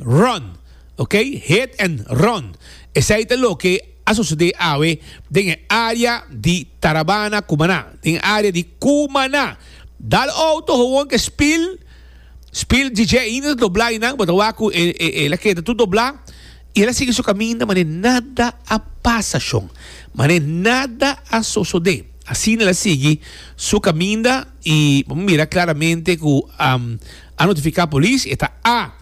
Run, ok, hit and run, esei ta loke a sosode awe den e área di Tarabana, Cumaná, den e área di Cumaná. Dal auto howon ke spil, spil DJ ainda ta doblá einan, bo ta wak ku e el a keda tur doblá i el a sigui su kaminda manera nada a pasa shon, manera nada a sosode. Asina el a sigui su kaminda i bo mira klaramente ku a notifiká polis, e ta a.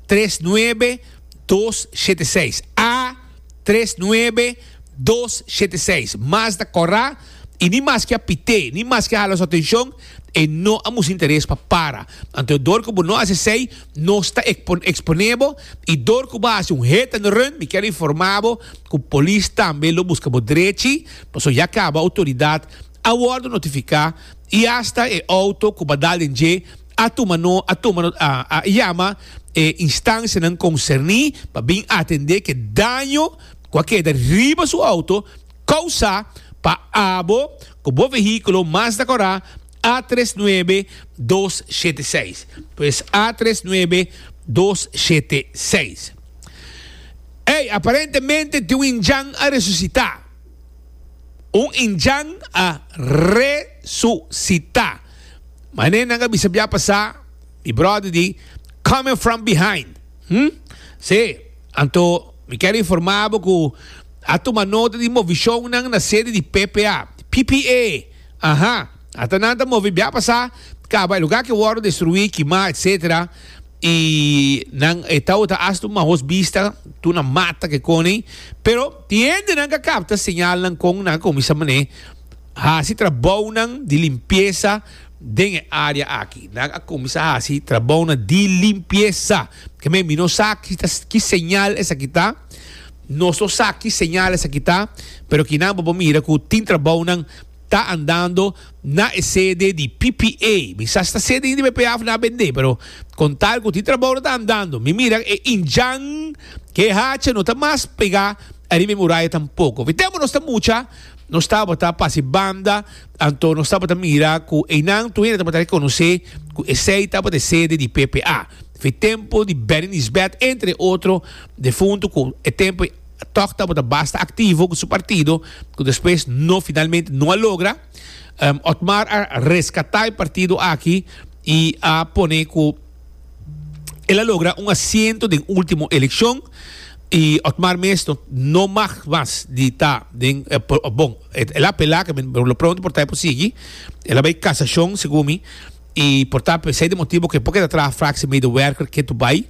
tres nuebe dos shete seis A tres nuebe dos shete seis Mas ta kòrá i ni maske a pit'é ni maske a hala su atenshon e no a mustr'é interes pa para. Anto dor ku bo no hasi esei nos ta eksponé bo i dor ku bo a hasi un hit and run mi kier informá bo ku polis tambe lo buska bo drechi pasobra ya kaba outoridat a wòrdu notifiká i asta e outo ku bo a dal den dje a tuma no a tuma no a a yama e instancianan concerni pa bin atende ke daño cu a keda riba su auto causa pa abo cu bo vehiculo Mazda Cora A tres nuebe dos shete seis. Pues A tres nuebe dos shete seis. Ey, aparentemente tin un injan a resucita. Un injan a resucita. Mané nan a bisa bia pasá, mi bròder di Coming From Behind. Hm? Sí. Anto mi ker informá bo ku a tuma nota di movishonnan na sede di PPA, PPA! Aha. Ata nan ta move bia pasá kaba e lugá ke wòrdu destruí, kimá, etsetera. I nan e tau ta hasta un maos bista tur na mata ke kòne. Pero tin hende nan ka kapta señalnan kon nan a kuminsá mané. Hasi trabounan di limpiesa den e área aki. Nan a kuminsá hasi trabounan di limpiesa. Kemey, mi no sa ki ta, ki señal esaki ta. Nos no sa ki señal esaki ta, pero kinan bo por mira ku tin trabounan ta andando na e sede di PPA. Mi sa si ta sede di BPA òf na, bendé, pero kon tal ku tin trabounan ta andando. Mi mira e inchan, ku e hacha no ta mas pegá ariba e muraya tampoko. Wit'é ku nos ta mucha. Nos tabata pase banda, anto nos tabata mira cu eynan tu hende tabata reconoce cu esey tabata e sede di PPA. Fe tempo di Benny Nisbet, entre otro defunto cu e tempo toch tabata basta activo cu su partido, cu despues no finalmente no a logra. Otmar a rescata e partido aki y a pone cu. El a logra un asiento den ultimo eleccion y Otmar mes no, no mag mas di ta den, eh, por, oh, bon, el, el a apela que men lo pronto por ta por sigui, el a bay casacion segun mi y por ta p'esey de motibo que poco e ta traha fractie medewerker ketu bay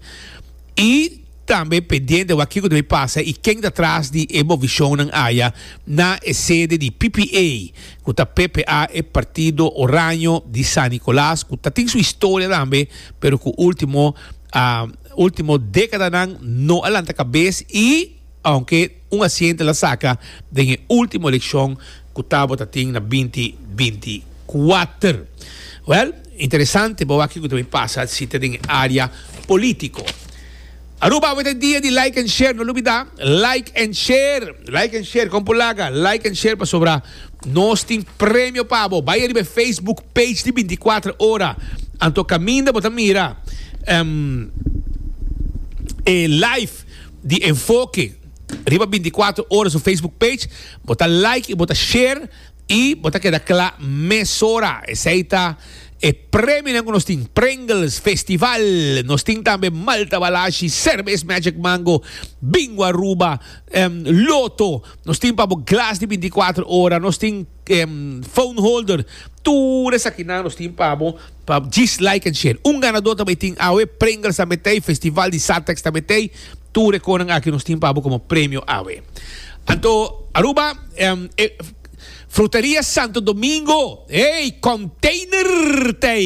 y Tambe pendiente wak kiko ta bay pasa y ken ta tras di e movishonnan aya na e sede di ppa, cu ta ppa, e Partido Oraño di San Nicolas, cu ta tin su historia tambe, pero cu ultimo, ultimo decadanan no a lanta cabes y, aunke. Un asiente la saca den e ultimo eleccion cu tabata tin na binti binti kuater. Well, interesante bo a kico ta bin pasa si ta den e area politico. Aruba awe ta e dia di like and share, no lubida like and share, like and share, con por laga like and share pasobra nos tin premio pa bo. Bai ariba e Facebook page di binti kuater ora, anto caminda bo ta mira, ehm, e live. di Enfoke riba binticuatro ora su Facebook page, bo ta like y bo ta share y bo ta keda cla mesora. Esey ta e premionan cu nos tin, Pringles Festival, nos tin tambe Malta Balashi, Cervez Magic Mango, Bingo Aruba, em, Lotto, nos tin pa bo glas di binticuatro ora, nos tin phone holder tur esaki nan nos tin pa bo pa djis like and share un ganador ta bay tin awe pringles ta metey festival di satex ta metey tur e conan aki nos tin pa bo como premio awe anto Aruba fruteria santo domingo ey container tey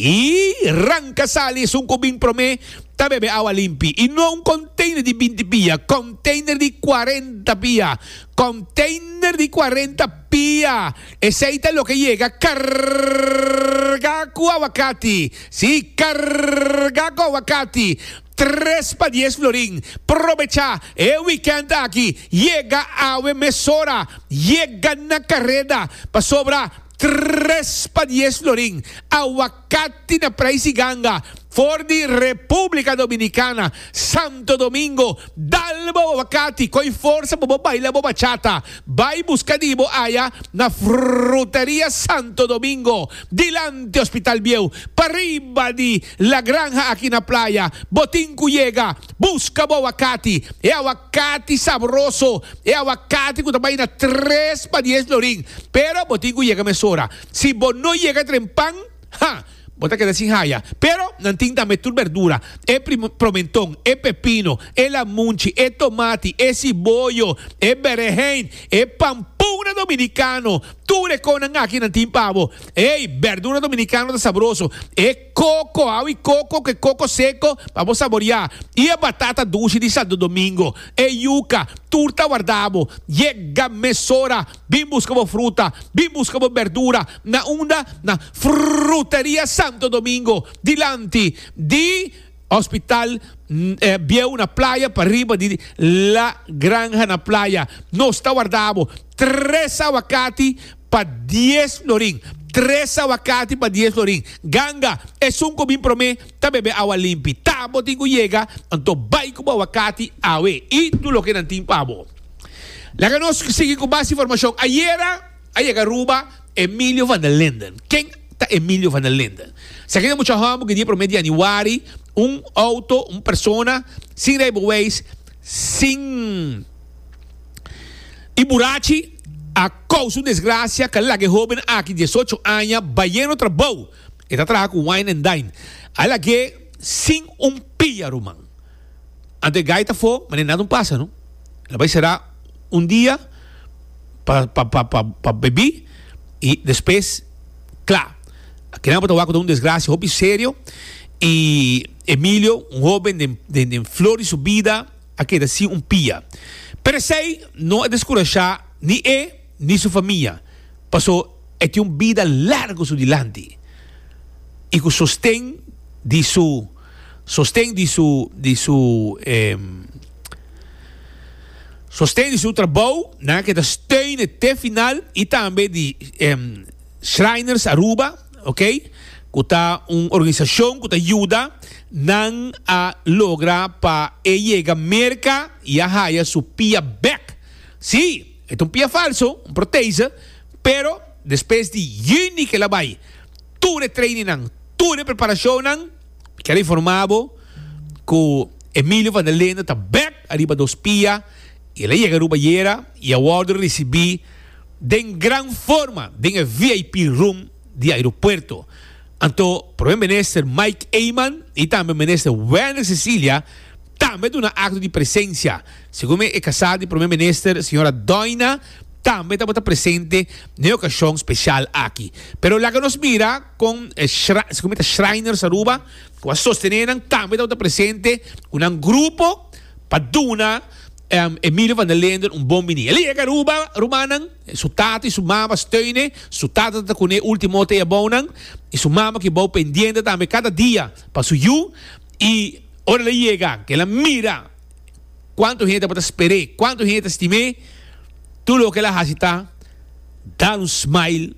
y ranca sali esun cu bin prome ta bebe awa limpi y no un container di binti pia container di cuarenta pia Container di cuarenta pia. Esey ta loke yega carga cu aguacati. Sí, carga cu aguacati. Tres pa dies florin. Probecha e weekend aki. Yega awe mesora. Yega na careda. Pasobra tres pa dies florin. Aguacati. Cati na praisi ganga for di Republica Dominicana, Santo Domingo, dal bobo ba cati coi forsa bobo baila bo bachata, bai busca di bo aya na Fruteria Santo Domingo, dilanti Hospital Bieu, pariba di La Granja aki na Playa, bo tin cu yega, busca bo awacati, e awacati sabroso, e awacati cu ta bai na tres pa dies lorin, pero bo tin cu yega mesora. Si bo no yega dren pan, ha, bo ta keda sin haya. Pero nan tin tambe tur berdura, e promenton, e pepino, e lamunchi, e tomati, e siboyo, e berehein, e pampuna dominikano, tur e konan aki nan tin pa bo. Ey, berdura dominikano ta sabroso, e koko, awi koko ku e koko seko pa bo saboreá, i e batata dushi di Santo Domingo, e yuka, tur ta warda bo. Yega mesora! Bin buska bo fruta, bin buska bo berdura na unda? Na Fruteria Santo Domingo, dilanti di Hospital Bieu na Playa, pa riba di La Granja na Playa. Nos ta warda bo tres awakati pa dies florin, tres awakati pa dies florin. Ganga, esun ku bin promé ta bebe awa limpi. Ta bo tin ku yega, anto bai ku bo awakati awe i tur loke nan tin pa bo. Laga nos sigui cu base informacion. Ayera a yega Aruba Emilio van der Linden. Ken ta Emilio van der Linden? Esaki ta mucha homo cu dia prome di januari un auto, un persona sin rijbewijs, sin y burachi a causa un desgracia cu a laga e hoben aki diesocho aña bayendo trabou. E ta traha cu Wine and Dine. A lag'e sin un pia, ruman. Anto e gaita fo, ma ne nada un pasa no. El a bai sera un dia pa pa pa pa pa bebí i despues cla. Akenan bo ta wak cu ta un desgracia hopi serio i Emilio un hoben den den den flor di su bida a keda sin un pia. Pero esei no a descurashá ni e ni su famia paso e tin un bida largo su dilanti i cu sosten di su. Sosten di su di su e sosten di su trabou nan ke ta steune te final y tambe di e Shriners Aruba ok ku ta un organisacion ku ta yuda nan a logra pa e yega Merca y a haya su pia bek. Si e ta un pia falso un protese pero despues di juni ke la bay. Tur e trainingnan, tur e preparacionnan, kier a informa bo cu Emilio van der Linde ta bek ariba dos pia y el a yega Aruba ayera y a wordo ricibi den gran forma den e vip room di aeropuerto. Anto Prome Minister Mike Eman y tambe Minister Werner Cecilia tambe a duna acto di presencia. Segun mi, e kasá di Prome Minister, señora Doina, tambe tabata presente na e okashon speshal aki. Pero laga nos mira kon e shra, segun mi ta Shriners Aruba, ku a sostené nan, tambe tabata presente ku nan grupo pa duna Emilio van der Linden un bon biní. El a yega Aruba, rumannan, su tata i su mama steun e, su tata tabata ku n'e último hote abou nan, i su mama ki abou pendiente tambe kada dia pa su yu, i ora el a yega, ke el a mira. Cuantu hende bo ta sper'é? Cuantu hende ta stim'é? Tur loke el a haci ta dal un smile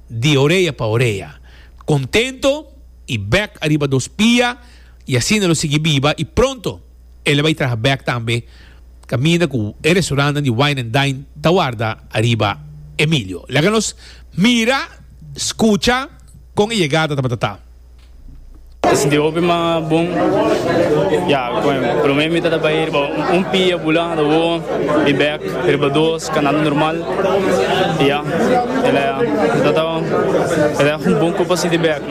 di orea pa orea, contento y bek ariba dos pia y asina lo sigui biba y pronto el a bay traha bek tambe caminda cu e restaurantnan di wine and dine ta warda ariba Emilio. Laga nos mira, scucha con e yegada tabata ta. Esaki di hopi man a bon. Ya, koen. Prome mi ta da bai riba un pia bula, a da wo, i bek riba dos, kanando normal. I ya, el a, el a taba, el a un bon kup asi di bek.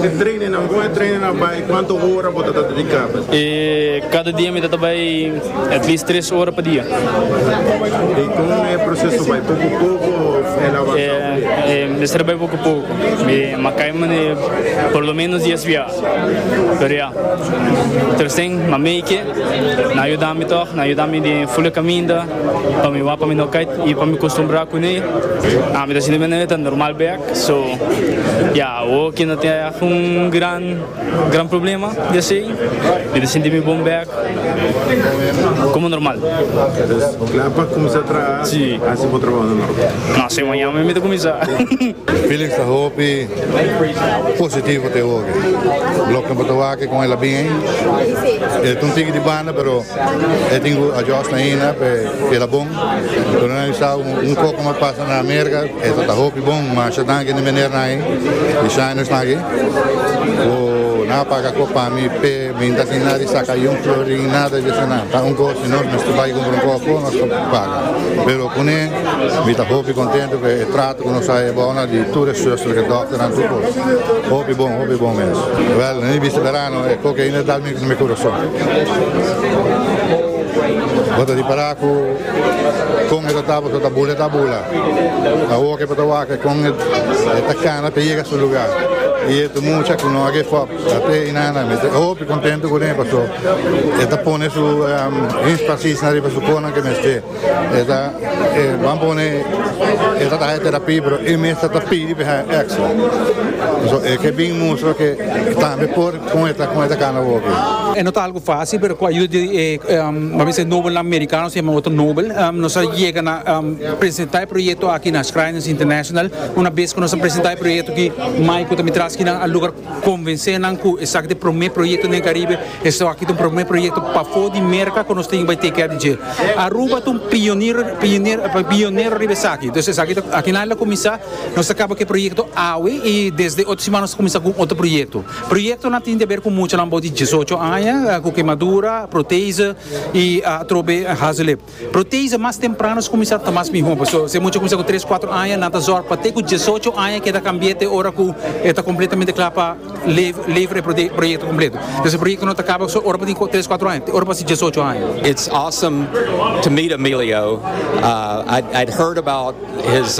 Di treinennan, kon e treinen a bai? Kuantu ora bo ta ta dediká pa es? Kada dia mi ta ta bai at least tres ora pa dia. I kon e proseso bai? Poku poku òf el a avansá un plei? Mester bai poku poku. Mi makai mane por lo menos dies biaha, pero ya, tresen ma meike, nan a yuda mi tog, nan a yuda mi den fule caminda pa mi wak pa mi no cay y pa mi costumbra cune. Mi ta sinti mene ta normal bek, so ya, awo ki no tin algun gran. Gran problema di esei. Mi ta sinti mi bon bek komo normal. Entonces kla pa kumsa traha hasi bo trabou na Norte? No, se mañana mi ta kuminsá. Felix ta hopi positivo te hopi. Loke bo ta wak kon el a bin ei. E ta un tiki di banda pero e tin ku adjust ainda pa e keda bon. Lo nan sa un koko mas pasa na Amerika e ta hopi bon masha danki di menernan ei di shine nan esnan aki. Bo nan a paga kop pa mi p'e mi ta asina di saka i un florin i nada di esonan. Ta un gosi nos mester bai kumpra un koko, nos kop a paga. Pero kuné mi ta hopi kontentu p'e trato ku nos a haña bou nan di tur e suster, e dòkternan, tur kos. Hopi bon, hopi bon mes. Wèl, na mi bista berano e koko ainda ta dal mi na mi kurason. Bo ta ripará ku. Kon e ta tapa so ta bula e ta bula awor ke pata wak e kon e ta kana pa yega su luga y e tu mucha ku no a give up ate inana mi ta hopi kontento kuné paso e ta pone su inspasis na riba su konan ke mester e ta ban pone e ta haña terapi pero e mester ta pidi pa e haña extra paso e ke bin mustra ke tambe por kon e ta kana awor. Fácil pero cu ayuda di e mabese nobelnan mericano si e otro nobel nos a yega na presenta e proyecto aki na Shriners International. Una bes cu nos a presenta e proyecto aki mai cu ta mi traski nan a logra convence nan cu esaki ta e prome proyecto den Caribe, esaki ta un prome proyecto pafo di Merca cu nos tin bay take care di dje. Aruba ta un pionero riba esaki. Entonces esaki ta aki nan el a cuminsa, nos ta caba cu e proyecto awe y desde otro siman nos ta cuminsa cu un otro proyecto. Proyektonan tin deber ku muchanan bou di diesocho aña ku kemadura, protese i atrobe hazeliep. Protese mas temprano skuminsá ta mas mihó pasobra si e mucha kuminsá ku tres kuater aña nan ta zòrg pa te ku diesocho aña keda kambié te ora ku e ta kompletamente kla pa lever e proyekto kompleto. Entonces e proyektonan ta kaba so ora bo tin tres kuater aña te ora bo hasi diesocho aña. It's awesome to meet Emilio. I had heard about his.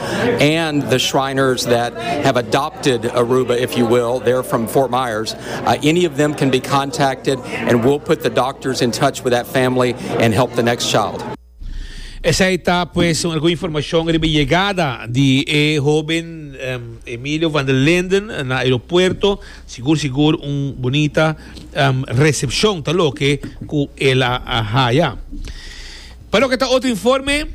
and the Shriners that have adopted Aruba, if you will, they're from Fort Myers. Uh, any of them can be contacted, and we'll put the doctors in touch with that family and help the next child. Esa está pues alguna información sobre llegada de e joven um, Emilio van der Linden na aeropuerto. Seguro, seguro, un bonita um, recepción, tal lo que él ha, ha, ha, Pa loke ta otro informe,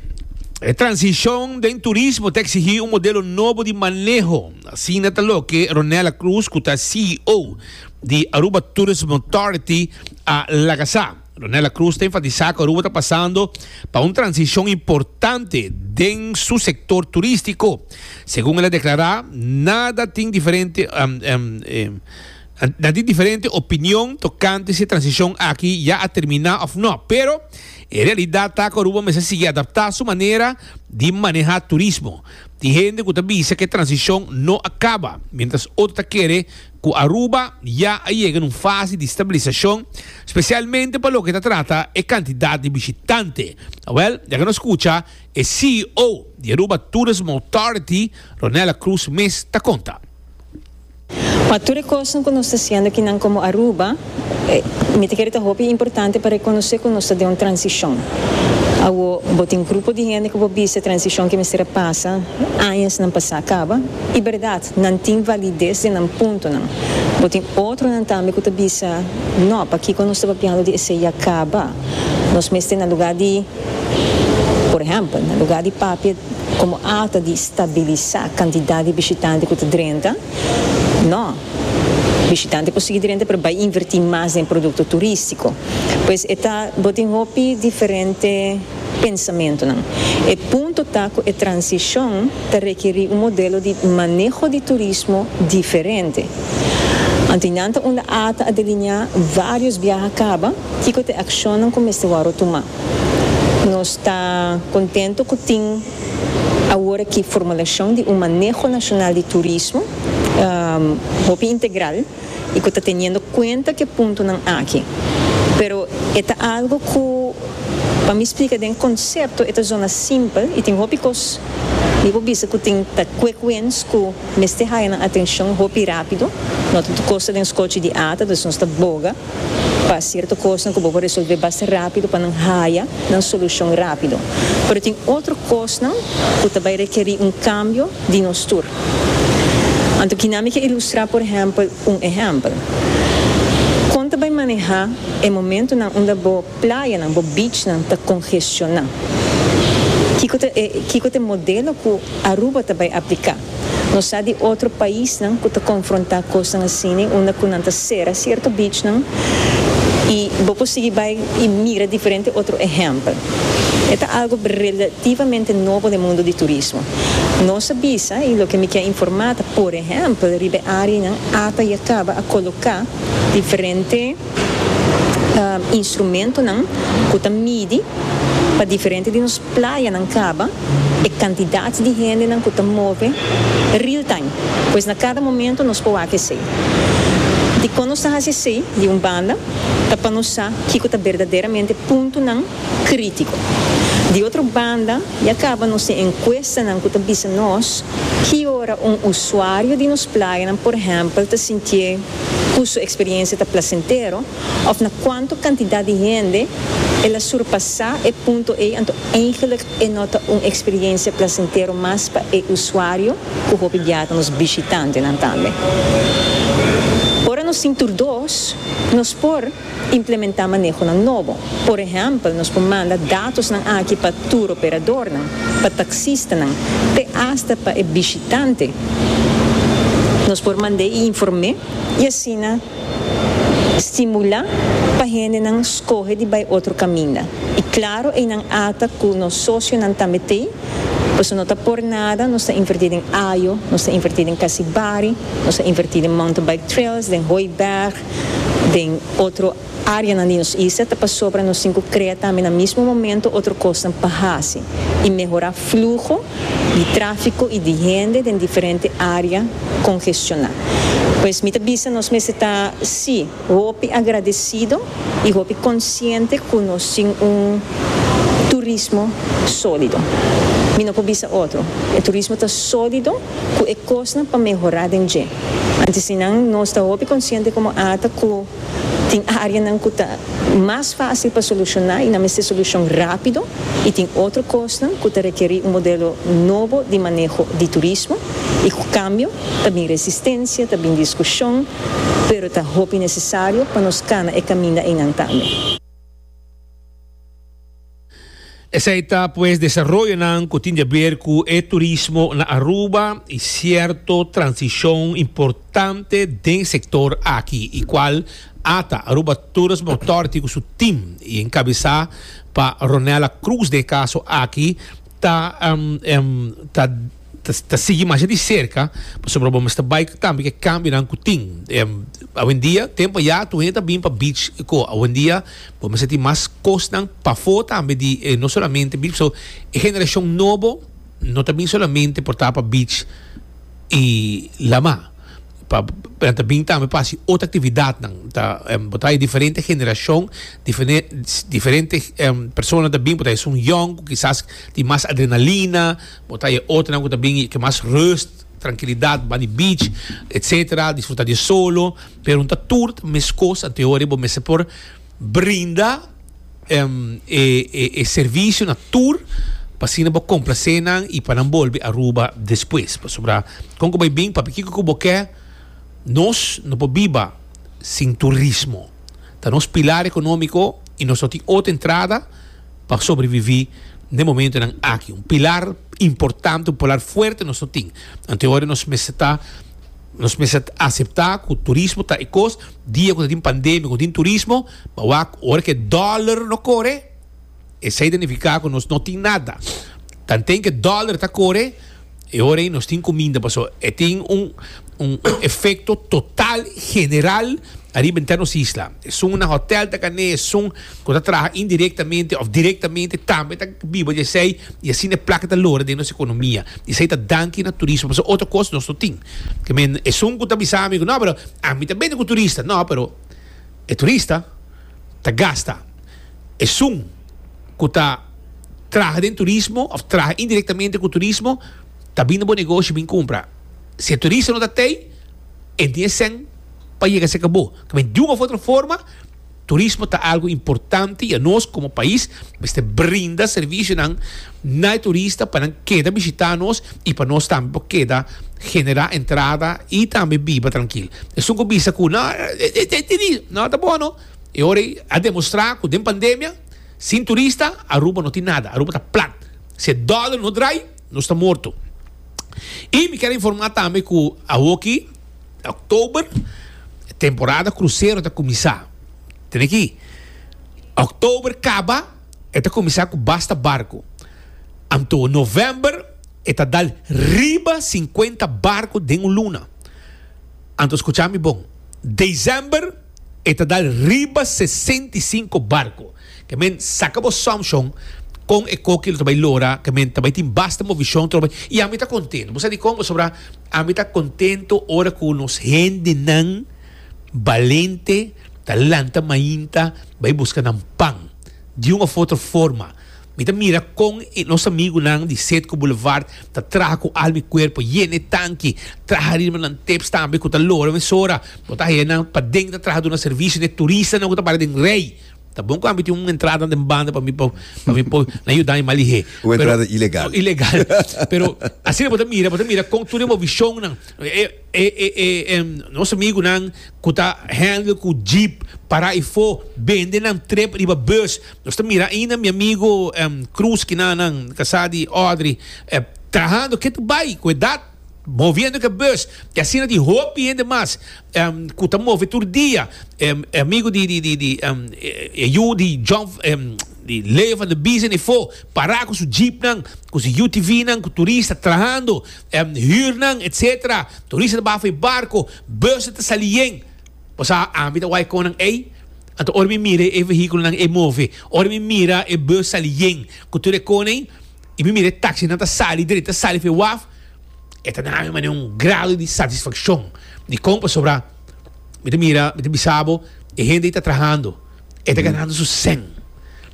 e transicion den turismo ta exigi un modelo nobo di maneho, asina ta loke Ronella Cruz cu ta CEO di Aruba Tourism Authority a laga sa. Ronella Cruz ta enfatisa cu Aruba ta pasando pa un transicion importante den su sector turistico. Segun el a declara, nada tin diferente. Nan tin diferente opinion tokante si e transishon aki ya a terminá òf nò. Pero, e realidat ta ku Aruba mester sigui adaptá su manera di manehá turismo. Tin hende ku ta bisa ku e transishon no a kaba, miéntras otro ta kere ku Aruba ya a yega na un fase di stabilisashon, spesialmente pa loke ta trata e kantidat di bishitante. Awèl, yaka nos skucha e CEO di Aruba Tourism Authority, Ronella Cruz mes ta konta. Pa tur e kosnan ku nos ta siendo aki nan komo Aruba, mi ta kere ta hopi importante pa rekonosé ku nos ta den un transishon. Awo bo tin grupo di hende ku bo bisa e transishon ke mester a pasa añasnan pa sa kaba. I bèrdat, nan tin valides den nan puntonan. Bo tin otronan tambe ku ta bisa, No, pakiko nos ta papiando di esei ya kaba? Nos mester na lugá di. Por ehèmpel, na lugá di papia komo alta di stabilisá kantidat di bishitante ku ta drenta, nò, bishitante por sigui drenta pero bai invertí mas den produkto turístiko. Pues e ta, bo tin hopi diferente pensamentunan. E punto ta ku e transishon ta rekerí un modelo di maneho di turismo diferente. Anto nan ta unda ata a delineá vários biaha kaba. Kiko ta e akshonnan ku mester wòrdu tumá? Nos ta kontentu ku tin aworakí formulashon di un maneho nashonal di turismo hopi integral i ku ta teniendo kuenta ku e puntonan aki. Pero e ta algu ku pa mi splika den konsepto e ta zona simpel i tin hopi kos mi por bisa ku tin ta quick wins ku mester haya nan atenshon hopi rápido. No ta tur kos ta den skochi di ata, dus nos ta boga. pa cierto cosnan cu bo por resolve basta rápido pa nan haya nan solucion rápido. Pero tin otro cosnan cu ta bay requeri un cambio di nos tur. Anto kina mi ke ilustra por ehempel un ehempel. Con ta bay maneha e momentonan unda bo playanan, bo beachnan ta congestiona? Kico ta e, kico ta e modelo cu Aruba ta bay aplica? Nos sa di otro paisnan cu ta confronta cosnan asina unda cu nan ta cera cierto beachnan y bo por sigui bay y mira diferente otro ehempel. E ta algo relativamente nobo den mundo di turismo. Nos a bisa y loke mi kier informa ta por ehempel riba e areanan ata y a caba a coloca diferente. instrumentonan ku ta midi pa diferente di nos playanan kaba e kantidat di hendenan ku ta move real-time. Pues na kada momentu nos por wak esei. Dikon nos ta hasi esei? Di un banda, ta pa nos sa kiko ta berdaderamente puntunan krítiko. Di otro banda, ya kaba nos tin enkuestanan ku ta bisa nos ki ora un usuario di nos playanan, por ehèmpel, ta sintié. cu su experiencia ta placentero of na cuanto cantidad di hende el a surpasa e punto ey anto eigenlijk e no ta un experiencia placentero mas pa e usuario cu hopi bia ta nos bishitantenan tambe. Ora nos tin tur dos, nos por. Implementá manehonan nobo. Por ehèmpel, nos por manda datosnan aki pa tur operadornan, pa taksistanan, te asta pa e bishitante. Nos por mand'é i inform'é i asina stimulá pa hendenan skohe di bai otro kaminda. I klaro einan ata ku nos sosionan tambe t'ei, pasobra no ta por nada, nos ta invertí den Ajo, nos ta invertí den Kasibari, nos ta invertí den Mountain Bike Trails, den Hooiberg, den otro áreanan di nos isla ta pasobra nos tin ku krea tambe na mismo momento otro kosnan pa hasi i mehorá fluho di tráfiko i di hende den diferente área kongestioná. Pues mi ta bisa nos mester ta sí hopi agradesido i hopi konsiente ku nos tin un turismo sólido. Mi no por bisa otro, e turismo ta sólido. cu e cosnan pa mehora den dje. Antes si nan nos ta hopi consciente como ata cu tin areanan cu ta mas facil pa soluciona y nan mester solucion rapido y tin otro cosnan cu ta requeri un modelo nobo di maneho di turismo y cu cambio ta bin resistencia, ta bin discusion, pero ta hopi necesario pa nos cana e caminda eynan tambe. Esei ta pues desaroyonan ku tin jaber ku e turismo na Aruba i sierto transishon importante den sektor aki i kual ata Aruba Tourism Authority ku su tim i enkabesá pa Ronella Cruz den kaso aki ta ta ta sigui masha di serka pasobra bo mester bai tambe ku e kambionan ku tin. Awendia tempu ya tur hende ta bin pa beach i ko. Awendia bo mester tin mas kosnan pafó tambe di no solamente beach pasobra e generashon nobo no ta bin solamente por ta pa beach i lama pa nan ta bin tambe pa hasi otro aktividatnan. Bo ta haña diferente generashon diferente persona ta bin por ta esun yòn ku kisas tin mas adrenalina. Bo ta e otonan ku ta bin i ke mas rust, trankilidat, ban di beach, etc. Disfrutá di e solo. Pero no ta tur ta meskos, anto e hori bo mester por brinda e servisio na tur pa asina bo komplase nan i pa nan bolbe Aruba despues. Pasobra kon ku bo a bin, papia kiko ku bo ke, nos no por biba sin turismo. Ta nos pilar ekonómiko i nos no tin otro entrada. pa sobreviví den momentonan aki. Un pilar importante, un pilar fuerte nos no tin. Anto e ora nos mester ta, nos mester ta aseptá ku turismo ta e kos, dia ku ta tin pandemia ku no tin turismo, pa wak ora ku e dòler no kore, esei ta nifiká ku nos no tin nada. Tanten ku e dòler ta kore. E ora ei nos tin ku minda paso e tin un un efekto total general ariba enter nos isla. Esun na hotel ta kan'é, esun ku ta traha indirektamente òf direktamente tambe ta biba di esei i asina e plaka ta lora den nos ekonomia. I esei ta danki na turismo pasobra otro kos nos no tin. Ke men esun ku ta bisa mi ku, no pero ami ta bini ku turista. No, pero e turista. ta gasta. Esun ku ta traha den turismo òf traha indirektamente ku turismo ta bin na bo negoshi bin kumpra. Si e turista no ta t'ei, e no tin e sèn pa yega serka bo. Ta bin di un òf otro forma turismo ta algu importante i anos komo pais mester brinda servisionan Nai turista pa nan keda bishita nos y pa nos tambe por keda genera entrada y tambe biba trankil. Esun cu bisa cu no no ta bon no. E ora ey a demostra cu den pandemia sin turista Aruba no tin nada. Aruba ta plat. Si e dollar no draai nos ta morto. Y mi kier informa tambe cu awoki October temporada crucero ta cuminsa. Tene aki October caba. E ta kuminsá ku basta barku. Anto novèmber e ta dal riba sinkuenta barku den un luna. Anto skuchá mi bon, desèmber e ta dal riba sesenta i sinku barku. Ke men saka bo sòmshon kon e koki lo ta bai lora, ke men ta bai tin basta movishon tur bai. I ami ta kontentu. Bo sa dikon? Pasobra ami ta kontentu ora ku nos hendenan. Balente ta lanta mainta bai buska nan pan. Di un of otro forma, mi ta mira con e nos amigunan di Setco Boulevard ta traha cu alma y cuerpo, yena e tanki, traha riba nan tips tambe cu ta loro mesora. Bo ta haña nan paden ta traha duna servicio n'e turistanan cu ta para den rey. Ta bon cu ami tin un entrada den banda pa mi, pa mi por nan yuda mi malihé. Un entrada ilegal. Ilegal. Pero asina bo ta mira, bo ta mira con tur e bo visionnan. E e e nos amigunan ku ta handle ku jeep para ei fo bende nan trip riba bus. Nos ta mira ainda mi amigu Cruz kina nan kasá di Audrey trahando ke ta bai ku edat moviendo ke bus i asina tin hopi hende mas ku ta move tur dia. E amigu di di di di e yu di John di Leo van der Biesen ei fo para ku su jeepnan ku su UTVnan ku turista trahando Hürnan etc. Turista ta baha for e barco, bussen ta sali yen. Bo sa ami ta wai con nan ey? Anto ora mi mira e vehiculonan ey move, ora mi mira e bus sali yen cu tur e con ey y mi mira e taxinan ta sali dret, ta sali for e waf, e ta nami mane un grado di satisfaccion. Dicon? Pasobra mi ta mira, mi ta bisa bo, e hende ey ta trahando, e ta ganando su cen,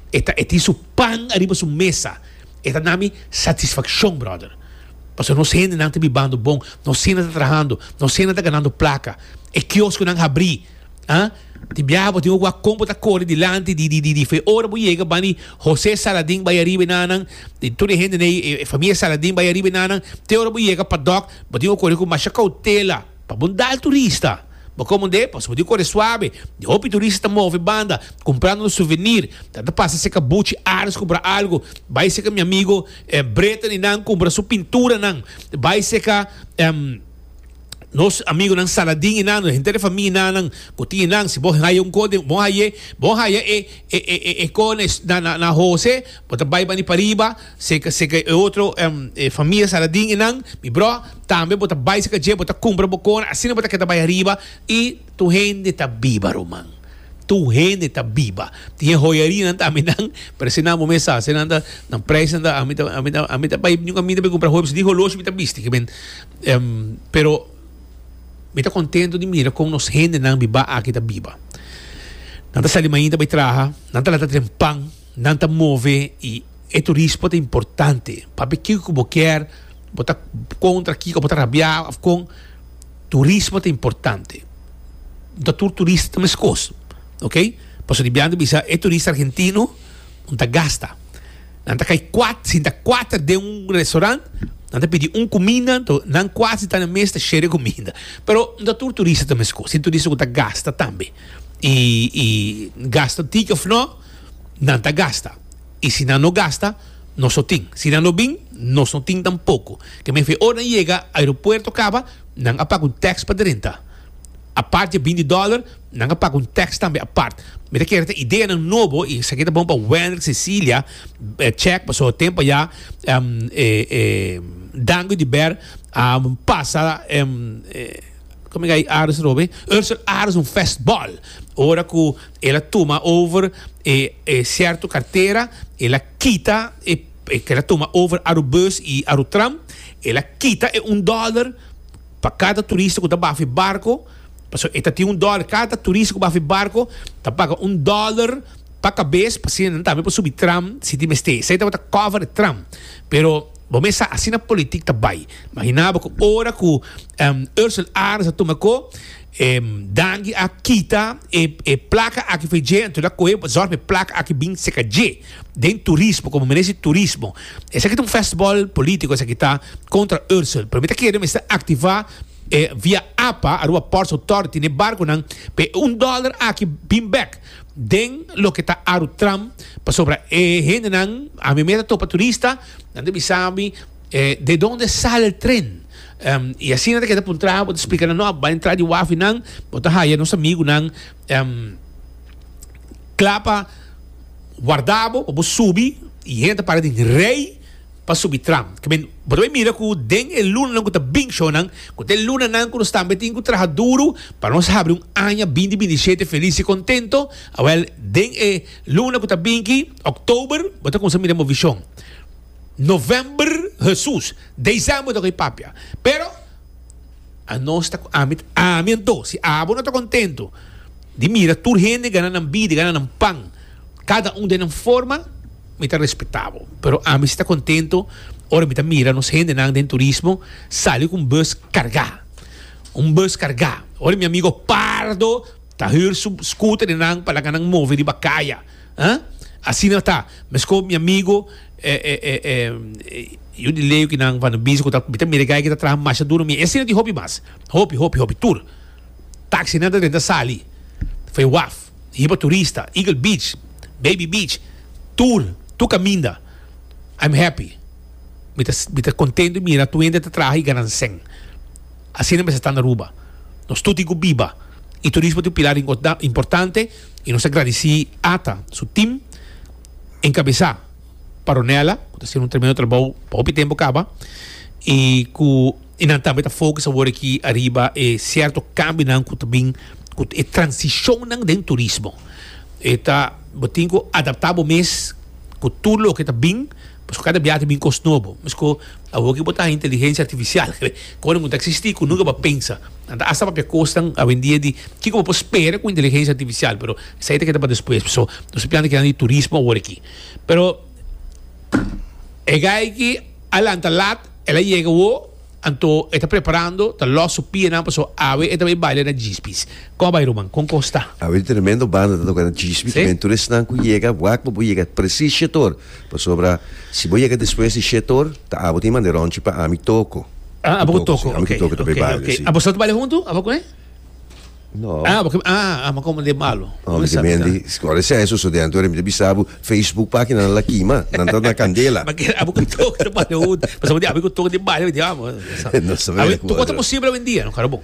e tin su pan ariba su mesa. E ta dami satisfaccion, brother. Pasobra nos hendenan ta bibando bon, nos sena ta trahando, nos sena ta ganando placa. E kiosconan habri, ah. Di biaha bo tin oko a con bo ta cori dilanti di, di, di, fe. Ora bo yega bani Jose Saladin bai ariba e nanan, di tur e hende dei, e, e familia Saladin bai ariba e nanan, te ora bo yega pa doc, bo tin oko cori cu masha cautela. Pa bo dal turista. Bo komo de pasobra di kore suabe, di hopi turista ta move banda kumprando un suvenir, ta ta pasa seka buchi Aris kumpra algu, bai seka mi amigu Breta ni nan kumpra su pinturanan, bai seka nos amigunan Saladin i nan, henter di famia i nannan ku tin nan. Si bo haya un kos den, bon haye, bon haya e e e kos na na na hose. Bo ta bai bani pariba seka seka e otro e famia Saladin enan mi bro tambe bo ta bai seka dje bo ta kumpra bo kona asina bo ta keda bai ariba i tur hende ta biba ruman tur hende ta biba tin e hoyarianan tambe nan parese nan bo mes sa se nan ta nan prijs nan ta ami ta ami ta ami ta bai ami ta bai kumpra hopi di holoshi mi ta bisti kimin pero mi ta kontento di mira kon nos hende nan biba aki ta biba nan ta sali mainta bai traha nan ta laga tren pan. Nan ta move y e turismo ta importante. Papia kico cu bo kier, bo ta contra kico, bo ta rabia of con, turismo ta importante. No ta tur turista ta mescos, ok. Pasobra di biaha nan ta bisa e turista argentino no ta gasta. Nan ta cay cuat, sinta cuater den un restaurant, nan ta pidi un cuminda, to nan cuat si ta na mes ta share e cuminda. Pero no ta tur turista ta mescos. Tin turista cu ta gasta tambe y, y gasta ticket of no. nan ta gasta. I si nan no gasta, nos no tin. Si nan no bin, nos no tin tampoco. Ke men fe ora nan yega aeropuerto caba, nan a paga un tax pa drenta. Apart dje binti dollar, nan a paga un tax tambe apart. Mi ta kere ta ideanan nobo i esaki ta bon pa Wendrick Cecilia Check pasobra he tempo ya Dango di Ber a pasa Ursel Aronson festbal ora ku El a tuma over e e cierto cartera, el a kita e e el a tuma over aru bus y aru tram, el a kita e un dollar pa cada turista cu ta baf e barco, pasobra e ta tin un dollar, cada turista cu baf e barco ta paga un dollar pa cabes pa asina nan tambe por subi tram si tin mester. Esey tabata cover e tram. Pero bo mes sa asina politic ta bay. Imaginabo cu ora cu Ursel Aarts a tuma e co. E danki a kita e e plaka aki for dje anto el a cohe pa zorg pa e plaka aki bin seca dje den turismo como merece turismo esaki ta un festival politico esaki ta contra Ursel pero mi ta kere mester activa e via apa Aruba Ports Authority n'e barconan pa e un dollar aki bin bek den loke ta Arutram pasobra e hendenan ami mi a ta topa turista nan ta bisa mi. E de donde sale el tren? Um, y asina ta keda pa un traha, bo ta splica nan, no, bay entra di wafi nan, bo ta haya nos amigo nan, um, cla pa warda bo, pa bo subi, y hen ta para den rey pa subi tram. Ke men, bo ta bay mira cu den e lunanan cu ta bin, shownan, cu ta e lunanan cu nos tambe tin cu traha duro pa nos habri un aña binti binti shete feliz y contento, awel, den e luna cu ta bin ki, october, bo ta cuminsa mira bo vision. November Hesus December ta cu e papia pero anos ta cu ami ami anto si abo no ta contento di mira tur hende gana nan bida gana nan pan cada un den nan forma mi ta respetabo pero ami si ta contento ora mi ta mira nos hendenan den turismo sali cu un bus carga un bus carga ora mi amigo Pardo ta hür su scooter nan pa laga nan move riba caya. Huh? Asina ta. Mescó mi amigo eh, eh, eh, eh, eh, yo di Leo ki nan van a bisa cu ta, mi ta mira guy ki ta traha masha duro mi, e asina tin hopi mas. Hopi, hopi, hopi tur. Taxi nan ta drenta sali. Fue waf. Hiba turista. Eagle Beach. Baby Beach. Tur. Tur caminda. I'm happy. Mi ta, mi ta contento di mira tuende ta traha y gana cen. Asina mester ta na Aruba. Nos tur tin cu biba. Y turismo tin un pilar inco, importante. y nos ta gradici Ata su team encabeza pa Ronella cu ta haciendo un tremendo trabou pa hopi tempo caba y cu y nan tambe ta focus awor aki ariba e cierto cambionan cu ta bin cu e transicionnan den turismo e ta bo tin cu adapta bo mes cu tur loke ta bin Pasko kada biaha ta bin kos nobo. Mesku awor ki bo ta haña inteligensia artifisial, ke kosnan ku ta eksistí ku nunka bo a pensa. Nan ta hasta papia kosnan awendia di kiko bo por spera ku inteligensia artifisial, pero esei ta keda pa despues. Paso, nos ta planta kinan di turismo awor aki. Pero, e gai ki a lanta lat, el a yega awo. Anto e ta preparando, ta lòs su pianan paso awe e ta bai baila na Jispis. Kòm a bai Ruman? Kon kos ta? Awe e tremendo banda ta toka na Jispis, tambe tur esnan ku yega wak bo bo yega presis shetor, pasobra si bo yega despues di shetor ta abo tin manda ròntchi pa ami toko, abo ku toko, ami ku toko ta bai baila si. Abosnan ta baila huntu abo ku e? No. Ah, porque ah, ah, ma como de malo. No, mi te mendi, scuola e senso, so dentro e mi te bisabu, Facebook pagina na la kima, nan ta na candela. Ma que abo que toque te pare hoed, pa sabe de abo que toque de baile, mi te amo. No se Abi, tu kota posible hoy en día, no carabo.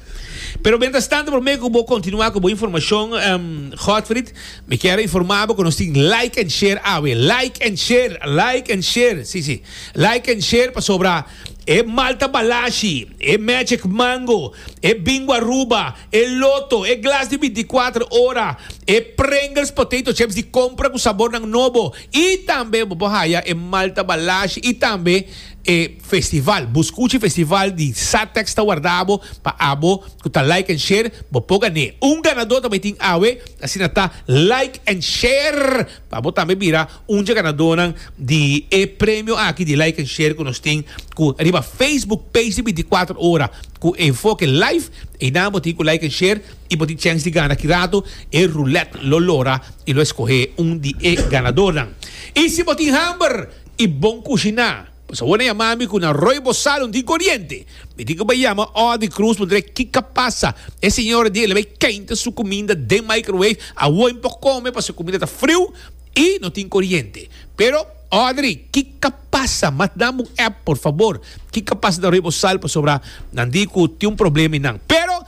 Pero mientras tanto, por mí que bo continuar con bo información, um, Godfried, me quiero informar bo que nos tin like and share awe, like and share, like and share, sí, sí, like and share pa sobra e malta balashi, e magic mango, e bingo Aruba, e loto, e glas di binticuater ora, e Pringles potato chips di compra cu sabornan nobo y tambe bo por haya e malta balashi y tambe e festival. Bo scuchi festival di Satex ta warda bo pa abo cu ta like and share bo por gané. Un ganador ta bay tin awe, asina ta like and share. Pa bo tambe bira un dje ganadónan di e premio aki di like en share ku nos tin ku riba Facebook page di binticuatro ora ku Enfoke Live. Einan bo tin ku like en share i bo tin chèns di gana kirato. E rulèt lo lora i lo eskohé un di e ganadónan. I si bo tin hamber i bon kushiná? Pues awor na yama mi cu na roi bo salon di coriente. Mi tin cu bay yama or di cruz mudre kica pasa. E señora di e la bay cainta su cuminda den microwave. Awor mi por come pasobra e cuminda ta friu y no tin coriente. Pero Audrey, kica pasa? Mas dame un app por favor. Kica pasa na roi bo sal pasobra nan di cu tin un problema y nan. Pero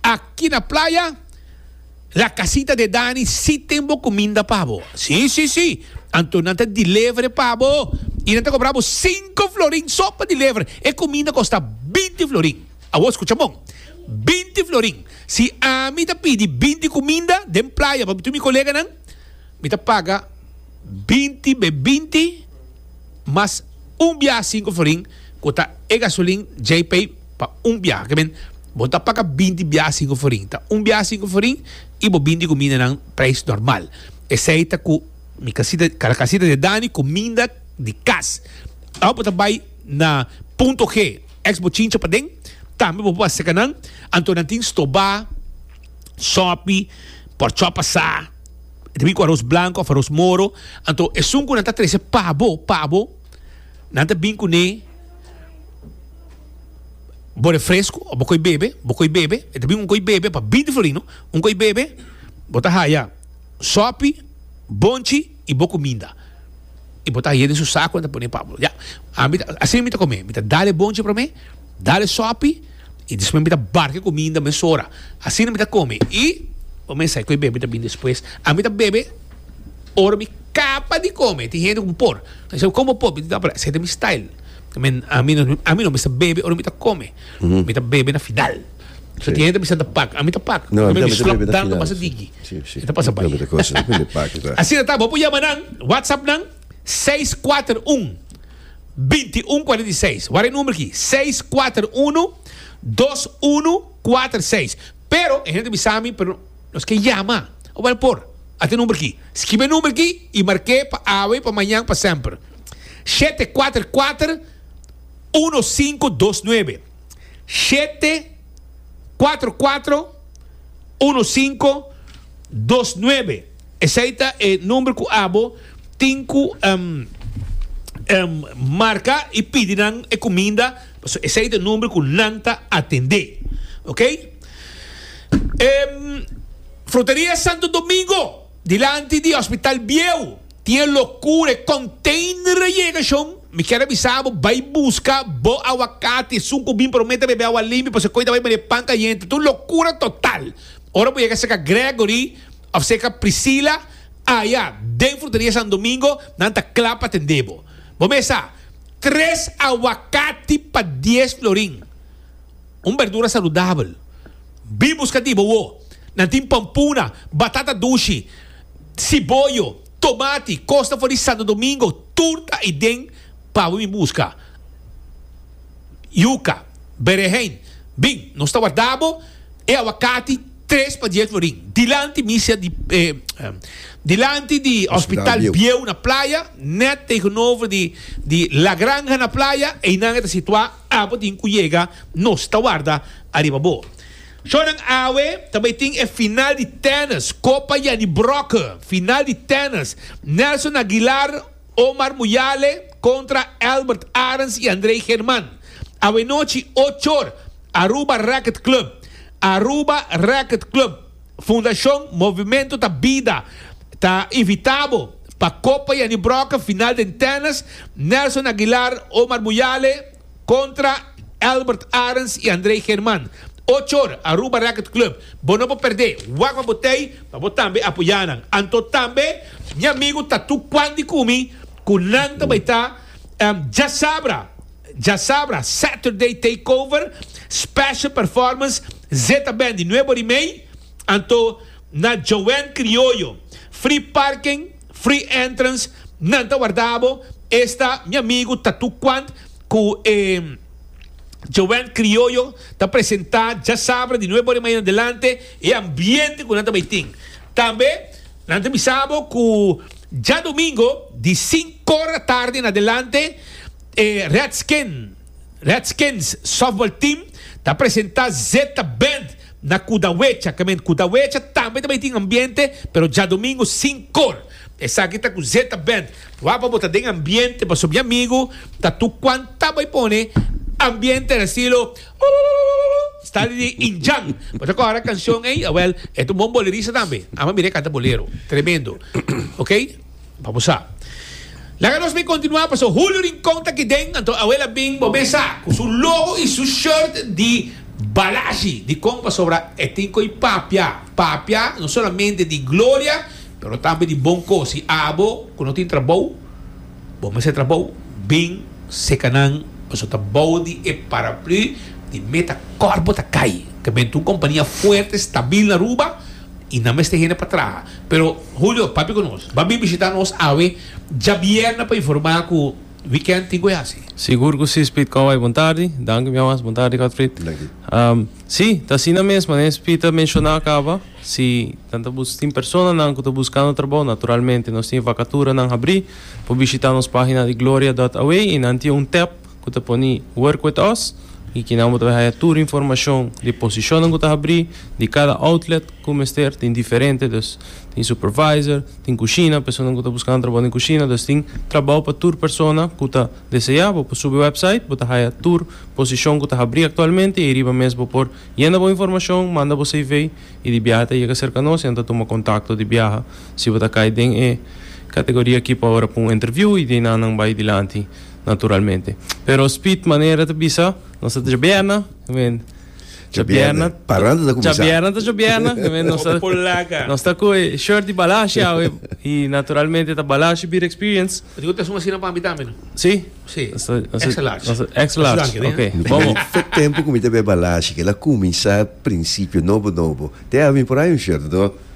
aki na playa. La casita de Dani si tin bo cuminda pa bo. Si, si, si. Anto nan ta deliver pa bo y nan ta cobra bo cinco florin so pa deliver. E cuminda costa binti florin. Awo scucha bon. Binti florin. Si ami ta pidi binti cuminda den playa pa tur mi coleganan. Mi ta paga binti be binti mas un biaha sinku florin ku ta e gasolin djei pei pa un biaha. Ke men, bo ta paga binti biaha sinku florin. Ta un biaha sinku florin i bo binti kumindanan preis normal. Esei ta ku mi kasita, kal kasita di Dani, kuminda di kas. Awo bo ta bai na punto G, eks bo chincha paden, tambe bo por baseka nan. Anto nan tin stobá, sòpi, pòrchòp asá. ta bin ku aros blanco of aros moro anto esun ku nan ta trece pa bo pa bo nan ta bin kune bo refresco of bo koi bebe bo koi bebe e ta bin un koi bebe pa binti florino un koi bebe bo ta haya sopi bonchi y bo cuminda y bo ta haya den su saco nan ta pone pa bo ya ami asi mi ta come mi ta dale bonchi prome. Dal e sopi y despues mi ta barca e cuminda mesora. Asina mi ta come y bo mesa cu e bebe ta bini despues. A mi ta bebe ora mi caba di come. Tin hende cu bo por. Mi dice como bo por? Mi ta apura esey ta mi style. A mi no, a mi no, mi sa bebe ora mi ta come. Mi ta bebe na final. So tin hende ta bisa mi ta pak. A mi ta pak. No, a mi ta bisa mi ta bebe na final. Pasa digi. Si, si. E ta pasa bay. Asina ta. Bo por yama nan, WhatsApp nan seis kuater un. binti un kuarenta i seis. Wak e number aki, seis kuater unu dos unu kuater seis. Pero e hende bisa mi, pero nos ke yama. Wel por, ata e number aki. Skibi e number aki i marke pa awe, pa mañan, pa semper. Shete kuater kuater uno sinku dos nuebe. Shete kuater kuater uno sinku dos nuebe. Esei ta e number cu abo tin cu marca y pidi nan e cuminda pasobra esei ta e number cu nan ta atende. Ok. Fruteria Santo Domingo dilanti di Hospital Bieu tin e locura e container a yega shon mi kier a bisa abo bay busca bo aguacate esun cu bin prome ta bebe agua limpio pasobra e coita bay mari e pan cayente ta un locura total ora bo yega cerca Gregory. Of seka Priscila, Aya, den Fortaleza San Domingo, nan ta kla pa tende bo. Bo mes sa, tres awakati pa dies florin. Un berdura saludabel. Bin buska di bo wo. Nan tin pompuna, batata dushi, siboyo, tomati, kosta for di Santo Domingo, tur ta ei den pa bo bin buska. Yuka, berenjen, bin, nos ta warda bo e awakati. Tres pa dies lorin, dilanti misia di dilanti di Hospital Bieu na Playa, net tegenover di di La Granja na Playa, einan e ta situá, abo tin ku yega, nos ta warda ariba bo. Shor nan awe ta bai tin e final di tennis, Copa Jannie Brokke, final di tennis, Nelson Aguilar, Omar Muyale kontra Elbert Arens i Andrey German, awenochi ochor, Aruba Racket Club, Aruba Racket Club, Fundashon Movimento ta Bida ta invitá bo pa Copa Jannie Brokken final den Tennis, Nelson Aguilar, Omar Muyale, Contra Albert Arends y Andrey German, ocho or, Aruba Racket Club. Bo no por perdé. Wak pa bo tey pa bo tambe apoyá nan. Anto tambe mi amigo ta tu cuan di cumi cu nan ta bay ta Djasabra, Djasabra, Saturday Takeover, Special Performance, Zeta Band y Nuevo Rimey. Anto na Joanne Criollo, Free Parking, Free entrance nan ta warda bo esta mi amigo Tatu Quant cu e Joanne Criollo ta presenta djasabra di nuebe ora di mañana delante e ambiente cu nan ta bay tin tambe nan ta bisa bo cu djadomingo di sink ora tarde na delante e Redskin Redskins Softball Team ta presenta Zeta Band na Cudahuecha, camen Cudahuecha tambe ta bay tin ambiente, pero djadomingo sin cor. Esaki ta cu Zeta Band. Wak pa bo ta den ambiente pasobra mi amigo Tatu Quan ta bay pone ambiente na estilo Ooh stali di Indjan. Bo ta kora cancion ey? Awel, e ta un bon bolerista tambe. Ama mira e canta bolero. Tremendo. Oke. pa bo sa. Laga nos mi kontinuá paso Julio Rincon ta kiden, anto Abuela bin bo mesa ku su logo i su shirt di Balashi di kon pasobra e tin ko'i papia, papia no solamente di gloria pero tambe di bon kos i abo ku no tin trabou bo mester e trabou bin seka nan paso ta bou di e paraplu di meta kòrp bo ta kai ta benta un kompania fuerte stabil na Aruba. y nan mester hende pa traha. Pero Julio papia cu nos. Ba bin bishita nos awe djabierne pa informa cu weekend tin cu e haci. Sigur cu si Speed Cowboy bon tardi. Danki mi awas, bon tardi Godfried. Si, ta asina mes, mane Speed ta menciona caba, si nan ta bus tin personanan cu ta buscando trabou, naturalmente nos tin e vacaturanan habri, por bishita nos pagina di gloria dot away y nan tin un tap, ku ta pone Work With Us i kinan bo ta bay haya tur informashon di posishonnan ku ta habrí, di kada outlet ku mester, tin diferente dus tin supervisor, tin kushina, personanan ku ta buskando trabou den kushina, dus tin trabou pa tur persona ku ta deseá, bo por subi website, bo ta haya tur posishon ku ta habrí aktualmente i ei riba mes bo por yena bo informashon, manda bo CV i di biaha ta yega serka nos i nan ta tuma kontakto di biaha si bo ta kai den e kategoria aki pa ora pa un interview i di ei nan nan bay dilanti. naturalmente. Pero Speed manera ta bisa, nos ta djabierna, you mean. Djabierna. Parranda ta cuminsa. Djabierna ta djabierna, you mean. Nos ta, nos ta cu e shirt di Balashi awe, y naturalmente ta Balashi Beer Experience. Rico ta esun asina pa mi tambe, no? Si? Si. Nos ta, nos ta. Extra large. Nos ta, extra large. Nos ta danki, okay. Mi ta bini tot tempo cu mi ta bay Balashi, kila cuminsa principio nobo nobo. Te awe mi por hay un shirt, no?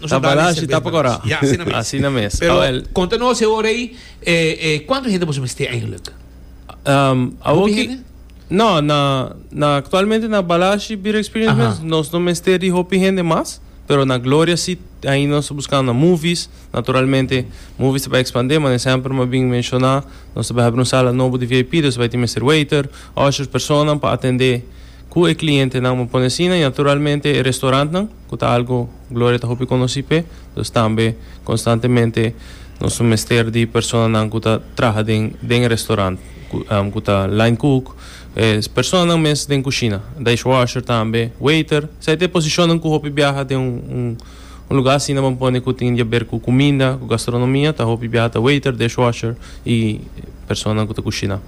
Nos a dal e servent pa nos. Ya, asina mes. Asina mes. Pero konta nos e ora ei, e, e, kuantu hende boso mester eindelijk? Um, awor ki, no, na, na actualmente na Balashi Beer Experience Aha. mes, nos no mester di hopi hende mas, pero na Gloria si, ahí nos ta buscando na movies, naturalmente movies ta bai expandir, maar sempre ma bin menciona, nos ta bai habri un sala nobo di VIP, dus bai tin mester waiter, ushers, personanan pa atende ku e clientenan, ma pone asina, y naturalmente e restaurantnan, ku ta algu Gloria ta hopi konosí p'e. Dus tambe konstantemente nos lo mester di personanan ku ta traha den den e restorant, ku ku ta line cook, e personanan mes den kushina, dishwasher tambe, waiter. Esei ta e posishonnan ku hopi biaha den un un un lugá asina bo pone ku tin di haber ku kuminda, ku gastronomia, ta hopi biaha ta waiter, dishwasher i personanan ku ta kushiná.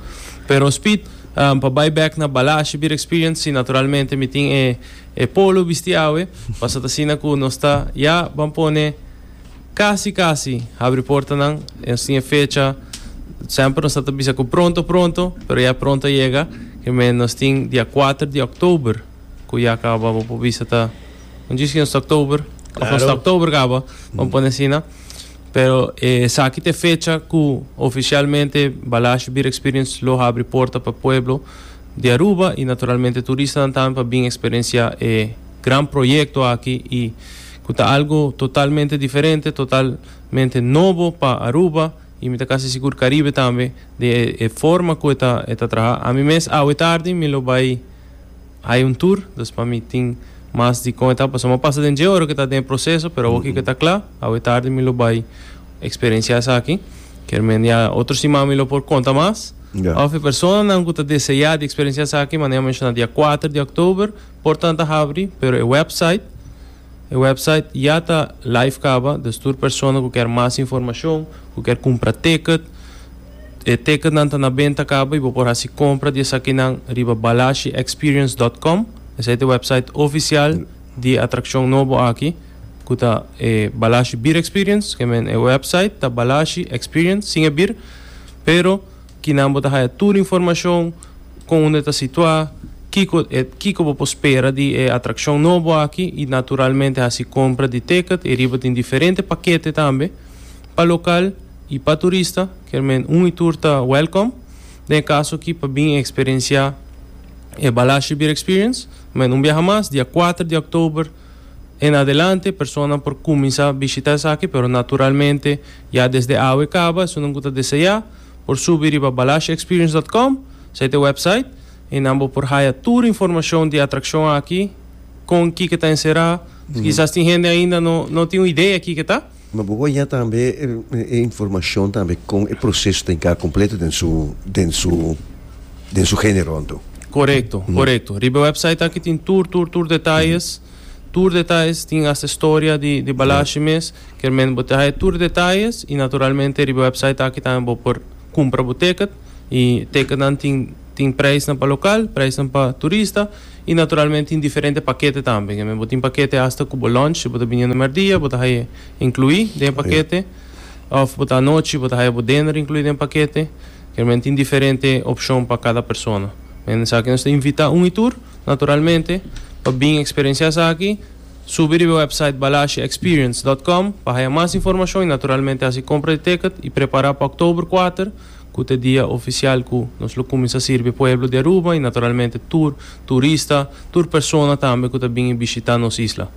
Pero Speed, pa bai bèk na bala ashibier experience, si naturalmente mi tin e. E polo bisti awe, pasa ta asina cu nos ta ya ban pone casi casi habri portanan, y nos tin e fecha, semper nos ta ta bisa cu pronto pronto, pero ya pronto a yega, ki me nos tin dia kuater di oktober cu ya caba, bo por bisa ta un djis ki nos ta oktober, of nos ta oktober caba, ban pone asina, pero esaki ta e fecha cu oficialmente Balashi Beer Experience lo habri porta pa pueblo. di Aruba y naturalmente turistanan tambe pa bin experiencia e gran proyecto aki y cu ta algo totalmente diferente, totalmente nobo pa Aruba y mi ta casi sigur Caribe tambe den e forma cu e ta e ta traha. Ami mes awe tardi mi lo bay hay un tour, dus pa mi tin mas di con e ta pasobra mi a pasa den dje ora cu e ta den e proceso pero awoki cu e ta cla awe tardi mi lo bay Experiencia esaki kier mende otro siman mi lo por conta mas of e personanan cu ta desea di experiencia esaki manera menciona dia cuater di october portanan ta habri pero e website e website ya ta live caba dus tur persona cu kier mas informacion cu kier cumpra ticket e ticketnan ta na benta caba y bo por haci compra di esakinan riba balashexperience.com esei ta e website oficial di atraccion nobo aki. ku ta e Balashi Bir Experience, ke men e website ta Balashi Experience sin e bir, pero kinan bo ta haya tur informashon kon unda e ta situá, kiko e kiko bo por spera di e atrakshon nobo aki i naturalmente hasi kompra di teket, e riba tin diferente pakete tambe pa lokal i pa turista, ker men un i tur ta wèlkom den e kaso aki pa bin eksperensiá e Balashi Bir Experience. Men un biaha mas, dia kuater di òktober. en adelante personanan por cuminsa bishita esaki pero naturalmente ya desde awe caba esunnan cu ta deseá por subi riba balashexperience.com esai ta e website y nan bo por haya tur informacion di atraccion aki con kico ta encerá, kisas tin hende ainda no tin un idea kico ta. Ma bo wak ya tambe e informashon tambe kon e proseso ta hinká kompleto den su den su den su género anto. Korekto, korekto. Riba e wèpsait aki tin tur tur tur detayes, tur detayes, tin asta e storia di di balashi mes. Kermente bo ta haña tur detayes i naturalmente riba e wèpsait aki tambe bo por kumpra bo tèkèt i tèkètnan tin tin preisnan pa lokal, preisnan pa turista. Y naturalmente tin diferente pakete tambe. Kende bo tin pakete hasta ku bo lunch, bo ta biniendo mèrdia, bo ta haya inkluí den e pakete. Òf bo ta anochi, bo ta haya bo dinner inkluí den e pakete. Kende tin diferente opshon pa kada persona. Kende esaki nos ta invitá un y tur, naturalmente, pa bin eksperensiá esaki. Subi riba e wèpsait balashaexperience dòt kòm pa haya mas informashon y naturalmente hasi kompra di tèkèt y prepará pa òktober kuater. cu ta dia oficial cu nos lo cuminsa sirbi pueblo di Aruba y naturalmente tur turista, tur persona tambe cu ta bini bishita nos isla.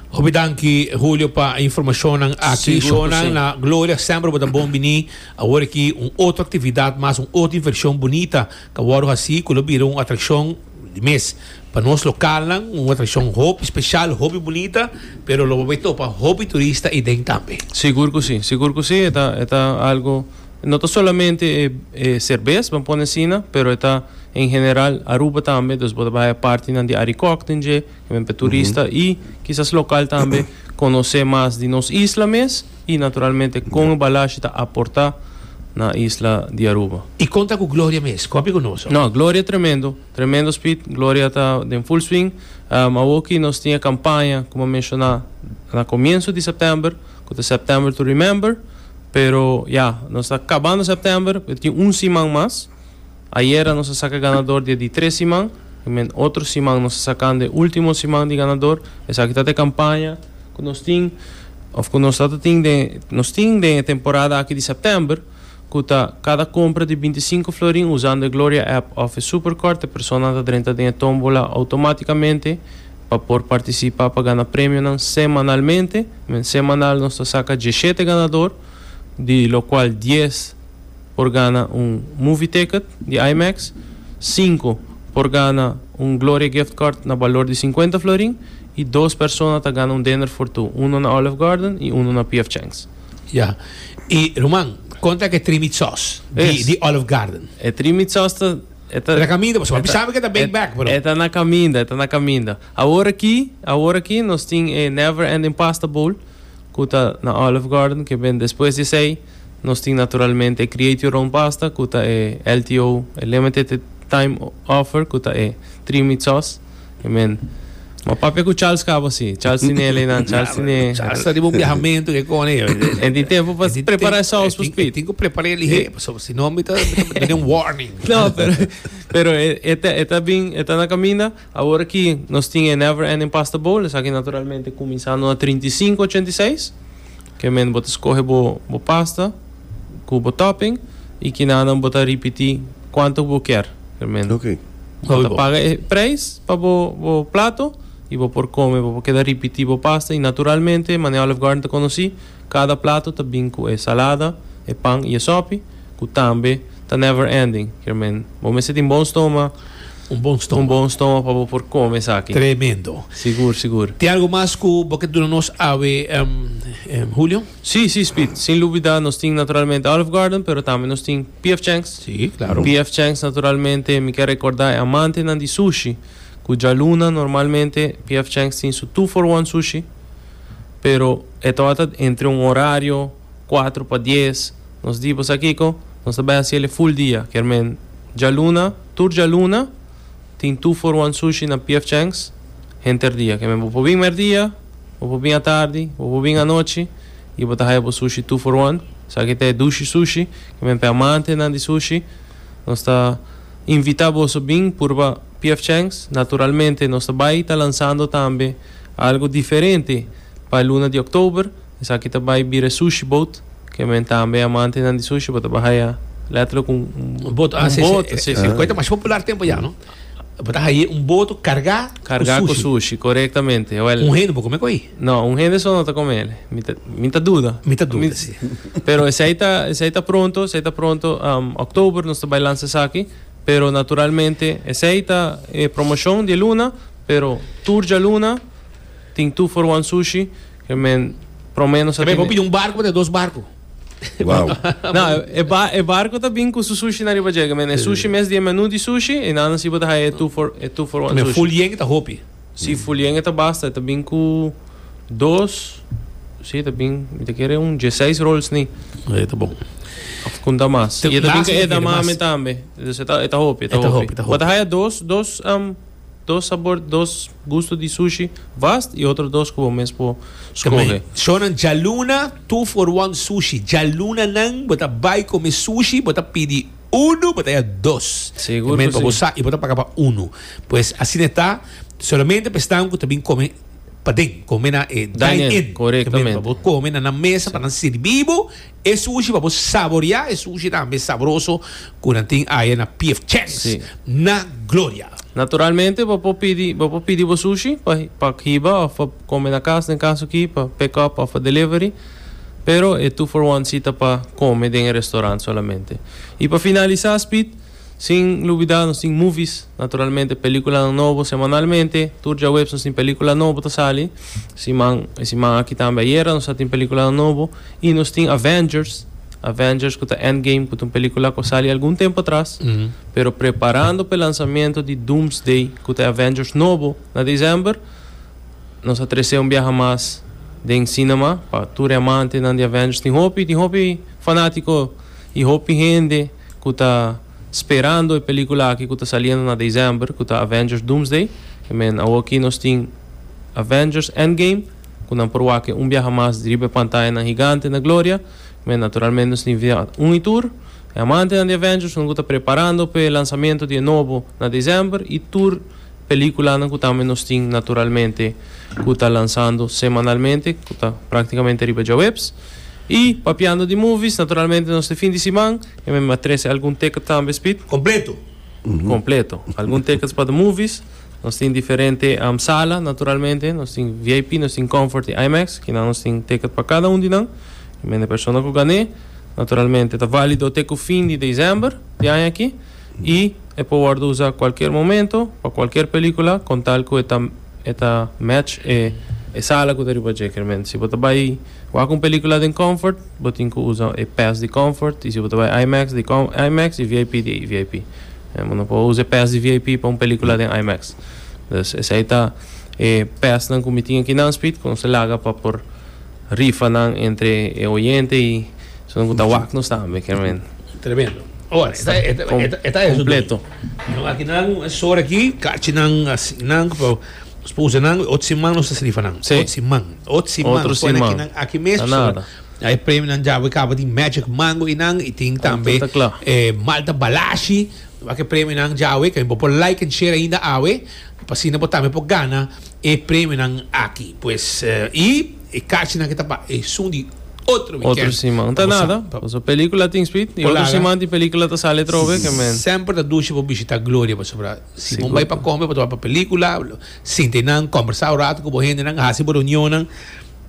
Hopi danki Julio pa e informacionnan aki. Sigur cu si. Shona, Gloria, semper bo ta bon bini. Awor aki un otro actividad mas, un otro diversión bunita. Ta wòrdu hasi ku lo bira un atrakshon di mes. Pa nos lokalnan un atrakshon hopi speshal, hopi bunita, pero lo bo bai topa hopi turista ei den tambe. Sigur ku si, sigur ku si. E ta, e ta algu, no ta solamente e e serbes, ban pone asina, pero e ta en general Aruba tambe, dus bo ta bai haya partinan di Arikòk den dje, ku men p'e turista i kisas lokal tambe konosé mas di nos isla mes. I naturalmente kon e balashi ta aportá na isla di Aruba. I kon ta ku Gloria mes? Kon a bin ku nos? No, Gloria tremendo, tremendo spit, Gloria ta den full swing. Awoki nos tin e kampaña kuma menshoná na komienso di sèptèmber ku ta September to Remember, pero ya nos ta kabando sèptèmber tin un siman mas. Ayera nos a saka ganador di e di tres siman, i men otro siman nos a sakan di e ultimo siman di ganador. Esaki ta ta e kampaña ku nos tin òf ku nos ta ta tin den nos tin den e temporada aki di sèptèmber, ku ta kada kompra di binti sinku florin usando e Gloria app òf e Superkort, e personanan ta drenta den e tómbola outomátikamente pa por partisipa pa gana premionan semanalmente. Men semanal nos ta saka dieshete ganador, di lokual dies. por gana un movie ticket di IMAX, sinku por gana un Gloria Gift Card na balor di sinkuenta florin i dos persona ta gana un dinner for two, uno na Olive Garden i uno na PF Chang's. Ya. I ruman, kon ta ke tri meat sauce di Olive Garden? E tri meat sauce ta, e ta. E ta na kaminda, pasobra mi sabi ke ta big bag, pero. E ta na kaminda, e ta na kaminda. Awor aki, awor aki nos tin e Never Ending Pasta Bowl ku ta na Olive Garden, ke bini despues di esei. Nos tin naturalmente e Create Your Own Pasta cu ta e LTO, e Limited Time Offer, cu ta e Three Meat Sauce. E men, Ma papia cu Charles cabo si. Charles tin e leynan, Charles tin e. Charles ta riba un biahamentu ke kone yo. E tin tempo pa prepara e saus pa Speed. E tin cu prepara e lihe, pasobra si no mi ta duna un warning. No, pero e ta bin, e ta na caminda. Awor ki nos tin e Never Ending Pasta Bowl, esaki naturalmente kuminsando na trinta i sinku ochenta i seis. Kiamente bo ta skohe bo bo pasta ku bo topping i kinanan bo ta ripití kuantu ku bo kier realmente. Ok. Bo ta paga e preis pa bo bo plato i bo por kome, bo por keda ripití bo pasta i naturalmente manera Olive Garden ta konosí. Kada plato ta bin ku e salada, e pan i e sòpi, ku tambe ta never ending. Kier men, bo mester tin bon stómak, un bon stómak pa bo por kome esaki. Tremendo. Sigur, sigur. Tin algu mas ku bo ke duna nos awe, Julio? Sí, sí, Speed. Sin lubidá nos tin naturalmente Olive Garden, pero tambe nos tin PF Chang's. Sí, klaro. PF Chang's naturalmente mi ke rekordá e amantenan di sushi ku djaluna normalmente PF Chang's tin su two for one sushi. pero e tabata entre un horario cuatro pa dies nos di bo sa kico nos ta bay haciel e full dia kermen djaluna tur djaluna tin two for one sushi na pf chang's henter dia kermen bo por bin merdia bo por bin atardi bo por bin anochi y bo ta haya bo sushi two for one esaki ta e dushi sushi kermen p'e amantenan di sushi nos ta invita boso bin purba pf chang's naturalmente nos ta bay ta lansando tambe Algo diferente pa e luna di October, esaki ta bai bira e Sushi Boat, ke men tambe amantenan di sushi bo ta baha ya letterlijk un Un boto, ah, un si, si, boto, si, si. e koe ta masha popular tempo ya, no? Bo ta haye un boto kargá ku sushi. Kargá ku sushi, korektamente. Wèl. Un hende por kome ku ei? No, un hende so no ta kome el. Mi ta, mi ta duda. Mi ta duda, si. Pero esei ta, esei ta pronto, esei ta pronto. October nos ta bai lansa esaki, pero naturalmente esei ta e promoshon di e luna. Pero tur djaluna tin two for one sushi ke men promenos a tene. Ke men por pidi un barco pa trae dos barco. Wow. Na, e ba e barco ta bin ku su sushi na riba dje ke men e sushi mes dies menu di sushi e nan si bo ta haya e two for e two for one sushi. Men full yen e ta hopi. Si full yen e ta basta e ta bin ku dos si e ta bin mi ta kere un dje seis rolls ni. E ta bon. Of kunta mas. I e ta bin ku edamame tambe. E ta hopi e ta hopi. Bo ta haya dos dos. Dos sabor, dos gusto di sushi, vast y otro dos cu bo mes por scoge. Shownan djaluna two for one sushi, djaluna nan bo ta bay come sushi bo ta pidi uno bo ta ya dos Segur cu si. y bo ta paga pa uno. Pues asina e ta, solamente pa esnan cu ta bin come paden, come na e dine-in, Dine-in, corectamente. bo come na nan mesa pa nan sirbi bo E sushi pa bo saborea e sushi tambe sabroso cu nan tin aye na PF Chang's Sí. na Gloria. Naturalmente bo por pidi bo por pidi bo sushi pa pa hiba of pa come na cas den caso aki pa pick up of pa delivery pero e two for one si ta pa come den e restaurant solamente. Y pa finalisa Speed. Sin lubida nos tin movies, naturalmente peliculanan nobo semanalmente, tur djaweps nos tin pelicula nobo ta sali, siman e siman aki tambe ayera nos a tin peliculanan nobo y nos tin Avengers, Avengers cu ta Endgame cu ta un pelicula cu a sali algun tempo atras, pero preparando p'e lanzamiento di Doomsday cu ta e Avengers nobo na december, nos a trece un biaha mas den cinema pa tur e amantenan di Avengers, tin hopi tin hopi fanatico y hopi hende. ku ta sperando e pelikula aki ku ta saliendo na desèmber ku ta Avengers Doomsday. I men awor aki nos tin Avengers Endgame ku nan por wak e un biaha mas di riba e pantayanan higante na gloria. I men naturalmente nos tin via un i tur e amantenan di Avengers nan ku ta preparando pa e lansamentu di e nobo na desèmber i tur pelikulanan ku tambe nos tin naturalmente ku ta lansando semanalmente ku ta praktikamente riba djaweps. Y, papiando di movies, naturalmente nos te fin di siman, e men a trece algun ticket tambe, Speed. Completo. Completo. Algun tickets pa the movies. Nos tin diferente sala, naturalmente. Nos tin VIP, nos tin Comfort y IMAX, kinan nos tin ticket pa cada un di nan. E men e persona cu gané, naturalmente ta valido te cu fin di december di aña aki. I e por wòrdu usa kualker momento pa kualker pelikula kon tal ku e ta e ta match e e sala ku ta riba dje. Kermente si bo ta bai wak un pelikula den Comfort bo tin ku usa e pass di Comfort i si bo ta bai IMAX di com IMAX i VIP di VIP. Bo no por usa e pass di VIP pa un pelikula den IMAX. Dus esei ta e passnan ku mi tin aki nan Speed ku nos a laga pa por. Rifanan entre e oyente y esonte cu ta wak nos tambe ken men. Tremendo. Awor, e ta, e ta, e ta, e ta eso dui. Completo. Nos aki nan e sor aki, cachi nan asi nan cu nos puse nan, ot siman nos ta sali rifa nan. Si. Ot siman, ot siman. Otro siman. Nos pone aki nan aki mes. Ta nada. Hay e premio nan djaba y caba tin magic mango y nan y tin tambe Anta ta cla. e malta balashi. Nos aki e premio nan djaba y tambe bo por like en share ainda awe pa asina bo tambe por gana. E premionan aki pues y e cachinan ke ta pa esun di otro weekend. Otro siman ta nada, pasobra pelicula tin speed y otro siman di pelicula ta sali atrobe ke men. Semper ta dushi pa bishita Gloria pasobra si bo bay pa come bo ta bay pa pelicula, sinta e nan combersa un rato cu bo hendenan, haci bo reunionnan,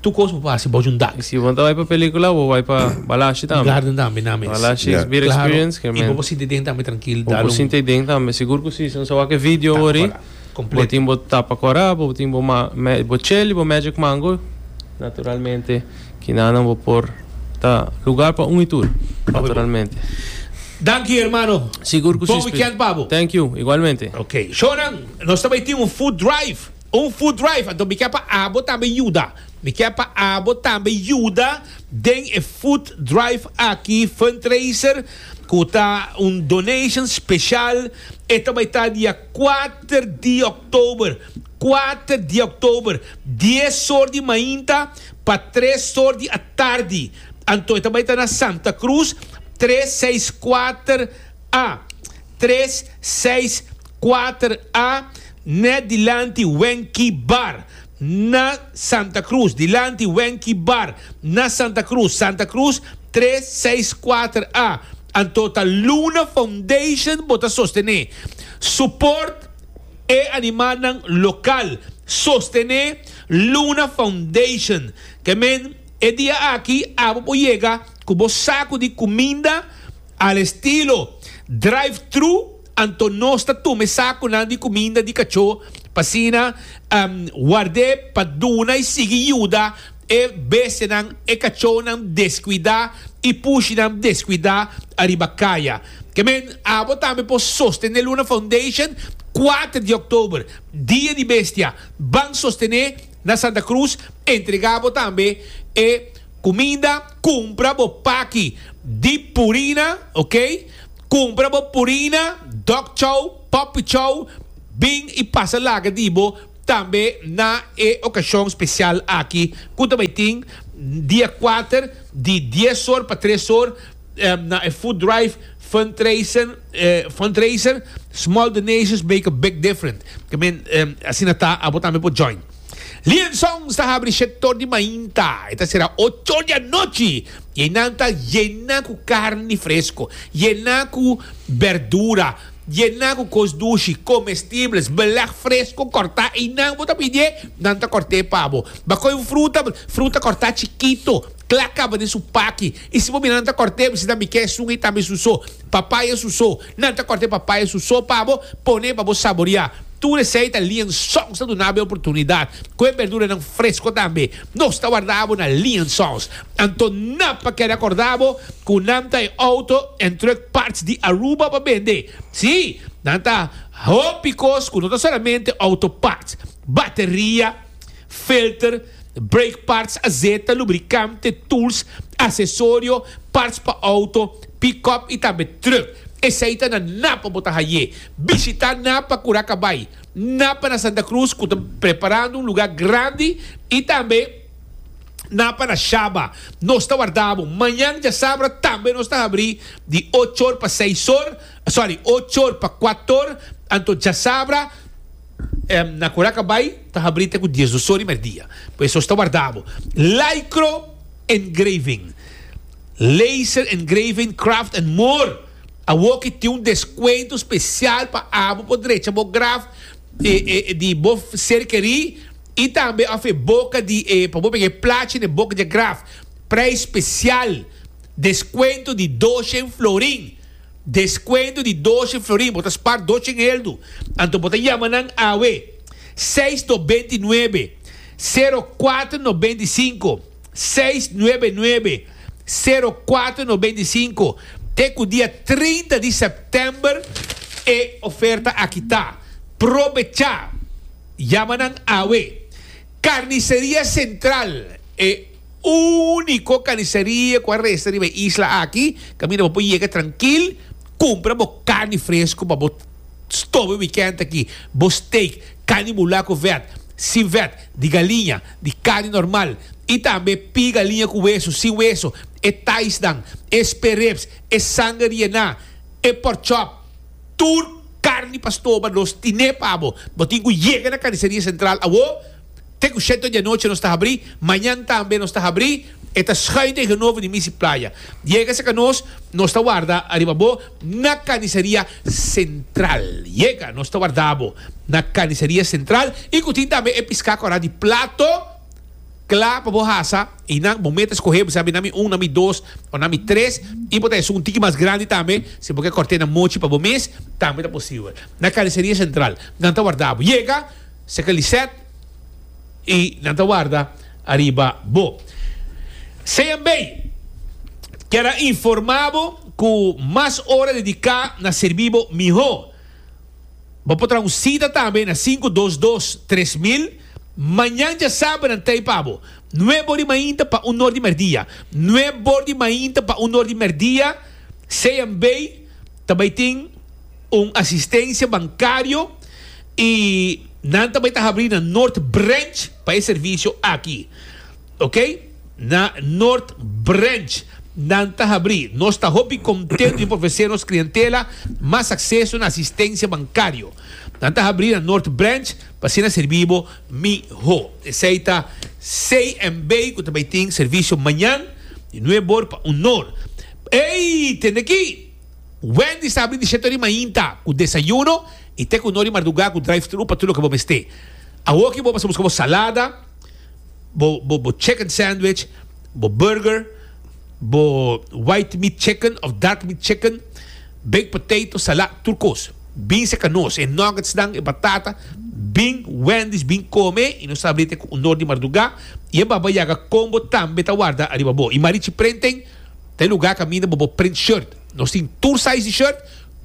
tur cos bo por haci bojo un dag. Y si bo ta bay pa pelicula bo bay pa balashi tambe. Garden tambe nan mes. Balashi is beer experience ke men. Claro y bo por sinta e den tambe trankil. Bo por sinta e den tambe, sigur cu si, si no sa wak e video wor ri. Bo tin bo tapa kora, bo tin bo bo cheli, bo magic mango, naturalmente kinanan bo por ta lugar pa un y tur, naturalmente. Danki hermano. Sigur ku si. Bon weekend pa bo. Thank you, igualmente. Ok, shownan nos ta bai tin un food drive, un food drive, anto mi ke pa abo tambe yuda, mi ke pa abo tambe yuda den e food drive aki fundraiser ku ta un donation special, e ta bai ta di. Kuater di òktober, Kuater di òktober, dies or di mainta pa tres or di atardi, anto e ta bai ta na Santa Cruz tres seis kuater a, tres seis kuater a, nèt dilanti Wenky Bar. na Santa Cruz, dilanti Wenky Bar, na Santa Cruz, Santa Cruz tres, seis, kuater a. Anto ta Luna Foundation bo ta sostené. Support e animalnan lokal. Sostené Luna Foundation. Ke men, e dia aki abo por yega ku bo saku di kuminda al estilo drive-thru. Anto nos ta tuma e sakunan di kuminda di kachó pa asina ward'é pa duna i sigui yuda e bestianan, e kachónan deskuidá i pushinan deskuidá ariba kaya. Kemen, abo tambe por sostené Luna Foundation kuater di òktober, Dia di Bestia. Ban sostené na Santa Cruz, entregá bo tambe e kuminda, kumpra bo paki di purina, ok. Cumpra bo Purina, Dog Chow, Puppy Chow, bin y pasa laga di bo tambe na e ocasion special aki cu ta bay tin dia cuater di dies or pa tres or na e food drive fundraiser Small Donations Make a Big Different, asina ta abo tambe por join. Lion Songs ta habri shèt tor di mainta, e ta sera ocho tor di anochi i einan ta yena ku karni fresko, yena ku bèrdura, yena ku kos dushi, komestibles, belèg fresko kòrtá. Einan bo ta pidié, nan ta kòrt'é pa bo. Bakòi un fruta, fruta kòrtá chikito. Kla kaba den su paki. I si bo mira nan ta kòrt'é, bo si tambe k'é esun ei tambe su so. Papaya su so. Nan ta kòrt'é papaya su so pa bo, pon'é pa bo saboriá. Tur esei ta lien sòns ta duna bo e oportunidat. Ku e berduranan fresko tambe. Nos ta warda bo na lien sòns. Anto nan pa keda kòrda bo ku nan ta e outo en trùk parts di Aruba pa bende. Sí, nan ta hopi kos ku no ta solamente outo parts. Bateria, filter. Brake parts a zeta, lubricante, tools, accesorio, parts pa auto, pick-up y tambe truck. Esai ta na Napa bo ta haye. Bishita na pa cura cabai. Napa na Santa Cruz cu ta preparando un lugar grandi y tambe Napa na Shaba. Nos ta warda bo. Mañan diasabra tambe nos ta habri di ochor pa seisor, sorry ochor pa cuator, anto diasabra. Na kura ka bai ta habri te ku dies dos sor di merdia. Por eso sta warda bo. Lycro Engraving, Laser Engraving Craft and More awor ki tin un deskuento spesial pa abo por drecha bo graf di bo ser kerí i tambe òf e boka di e pa bo big'é plachi n'e boka di e graf. Preis spesial, deskuento di doshen florin. Descuento di doce florin, bo ta spar dos chingeldu, anto bo ta yama nan awe, seis no benti nuebe, sero cuatro no benti cinco, seis nuebe nuebe, sero cuatro no benti cinco, te cu dia trinta di september e oferta aki ta. Probecha! Yama nan awe. Carniceria Central e. Úniko kaniseria ku a resta riba e isla aki, kaminda bo por yega trankil kumpra bo karni fresku pa bo stobe wikènt aki. Bo steak, karni bulá ku vèt, sin vèt, di galiña, di karni normal i tambe pí galiña ku wesu, sin wesu, e taisnan, e sperrips, e sanger riená, e porchòp, tur karni pa stoba nos tiné pa bo. Bo tin ku yega na Kaniseria Sentral awo. Te ku sheto di anochi nos ta habrí, mañan tambe nos ta habrí, e ta schuin tegen nobo di Misi Playa. Yega serka nos, nos ta warda ariba bo na Kanisaria Sentral. Yega, nos ta warda bo na Kanisaria Sentral i ku tin tambe e piská kòrá di plato kla pa bo hasa i nan bo meta skohé, bo sabi, nan mi un, nan mi dos o nan mi tres, i por ta esun un tiki mas grandi tambe, si bo ke kòrt'é na mochi pa bo mes, tambe ta posibel. Na Kanisaria Sentral nan ta warda bo. Yega! Seca Lisette y nan ta warda ariba bo. CMB kier a informa bo cu mas ora dedica na serbi bo miho. Bo por traha un cita tambe na sinku dos dos tres mil. Mañan djasabra nan ta ey pa bo, nue bor di mainta pa un nor di merdia. Nue bor di mainta pa un nor di merdia. CMB. Ta bay tin un asistencia bancario y nan ta bay ta habri na North Branch pa e servicio aki. Ok, na North Branch nan ta habri. Nos ta hopi contento di por ofrece nos clientela mas acceso na asistencia bancario. Nan ta habri na North Branch pa asina serbi bo miho. Esey ta CMB cu ta bay tin servicio mañan di nuebe or pa un nor. Ey! Tende aki! Wendy's ta abri di shete ori mainta ku desayuno i te ku no ori mardugá ku drive-thru pa tur loke bo mester. Awoki bo mester buska bo salada, bo bo chicken sandwich, bo burger, bo white meat chicken òf dark meat chicken, baked potato, salá, tur kos. Bin seka nos e nuggetsnan, e batata, bin Wendy's bin kome i nos ta abri te ku un nor di mardugá i e baba yaga kombo tambe ta warda ariba bo. I marichi prenten. Den lugar caminda bo bo print shirt. Nos tin tur size di shirt,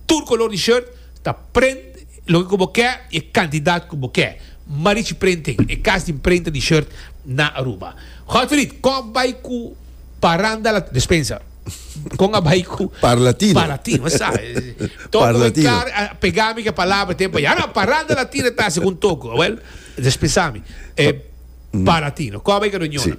tur color di shirt ta print loke cu bo ke y e cantidad cu bo ke. Marichi Printing, e cas di printa di shirt na Aruba. Godfried, con a bay cu paranda la, despensa, con a bay cu. Par latino. Par latino, me sa. Toko bay car a pega mi cu e palabra te bay. Ahora paranda latino ta segun Toko. Well, despensa mi. Par latino. Con a bay cu a reunion nan.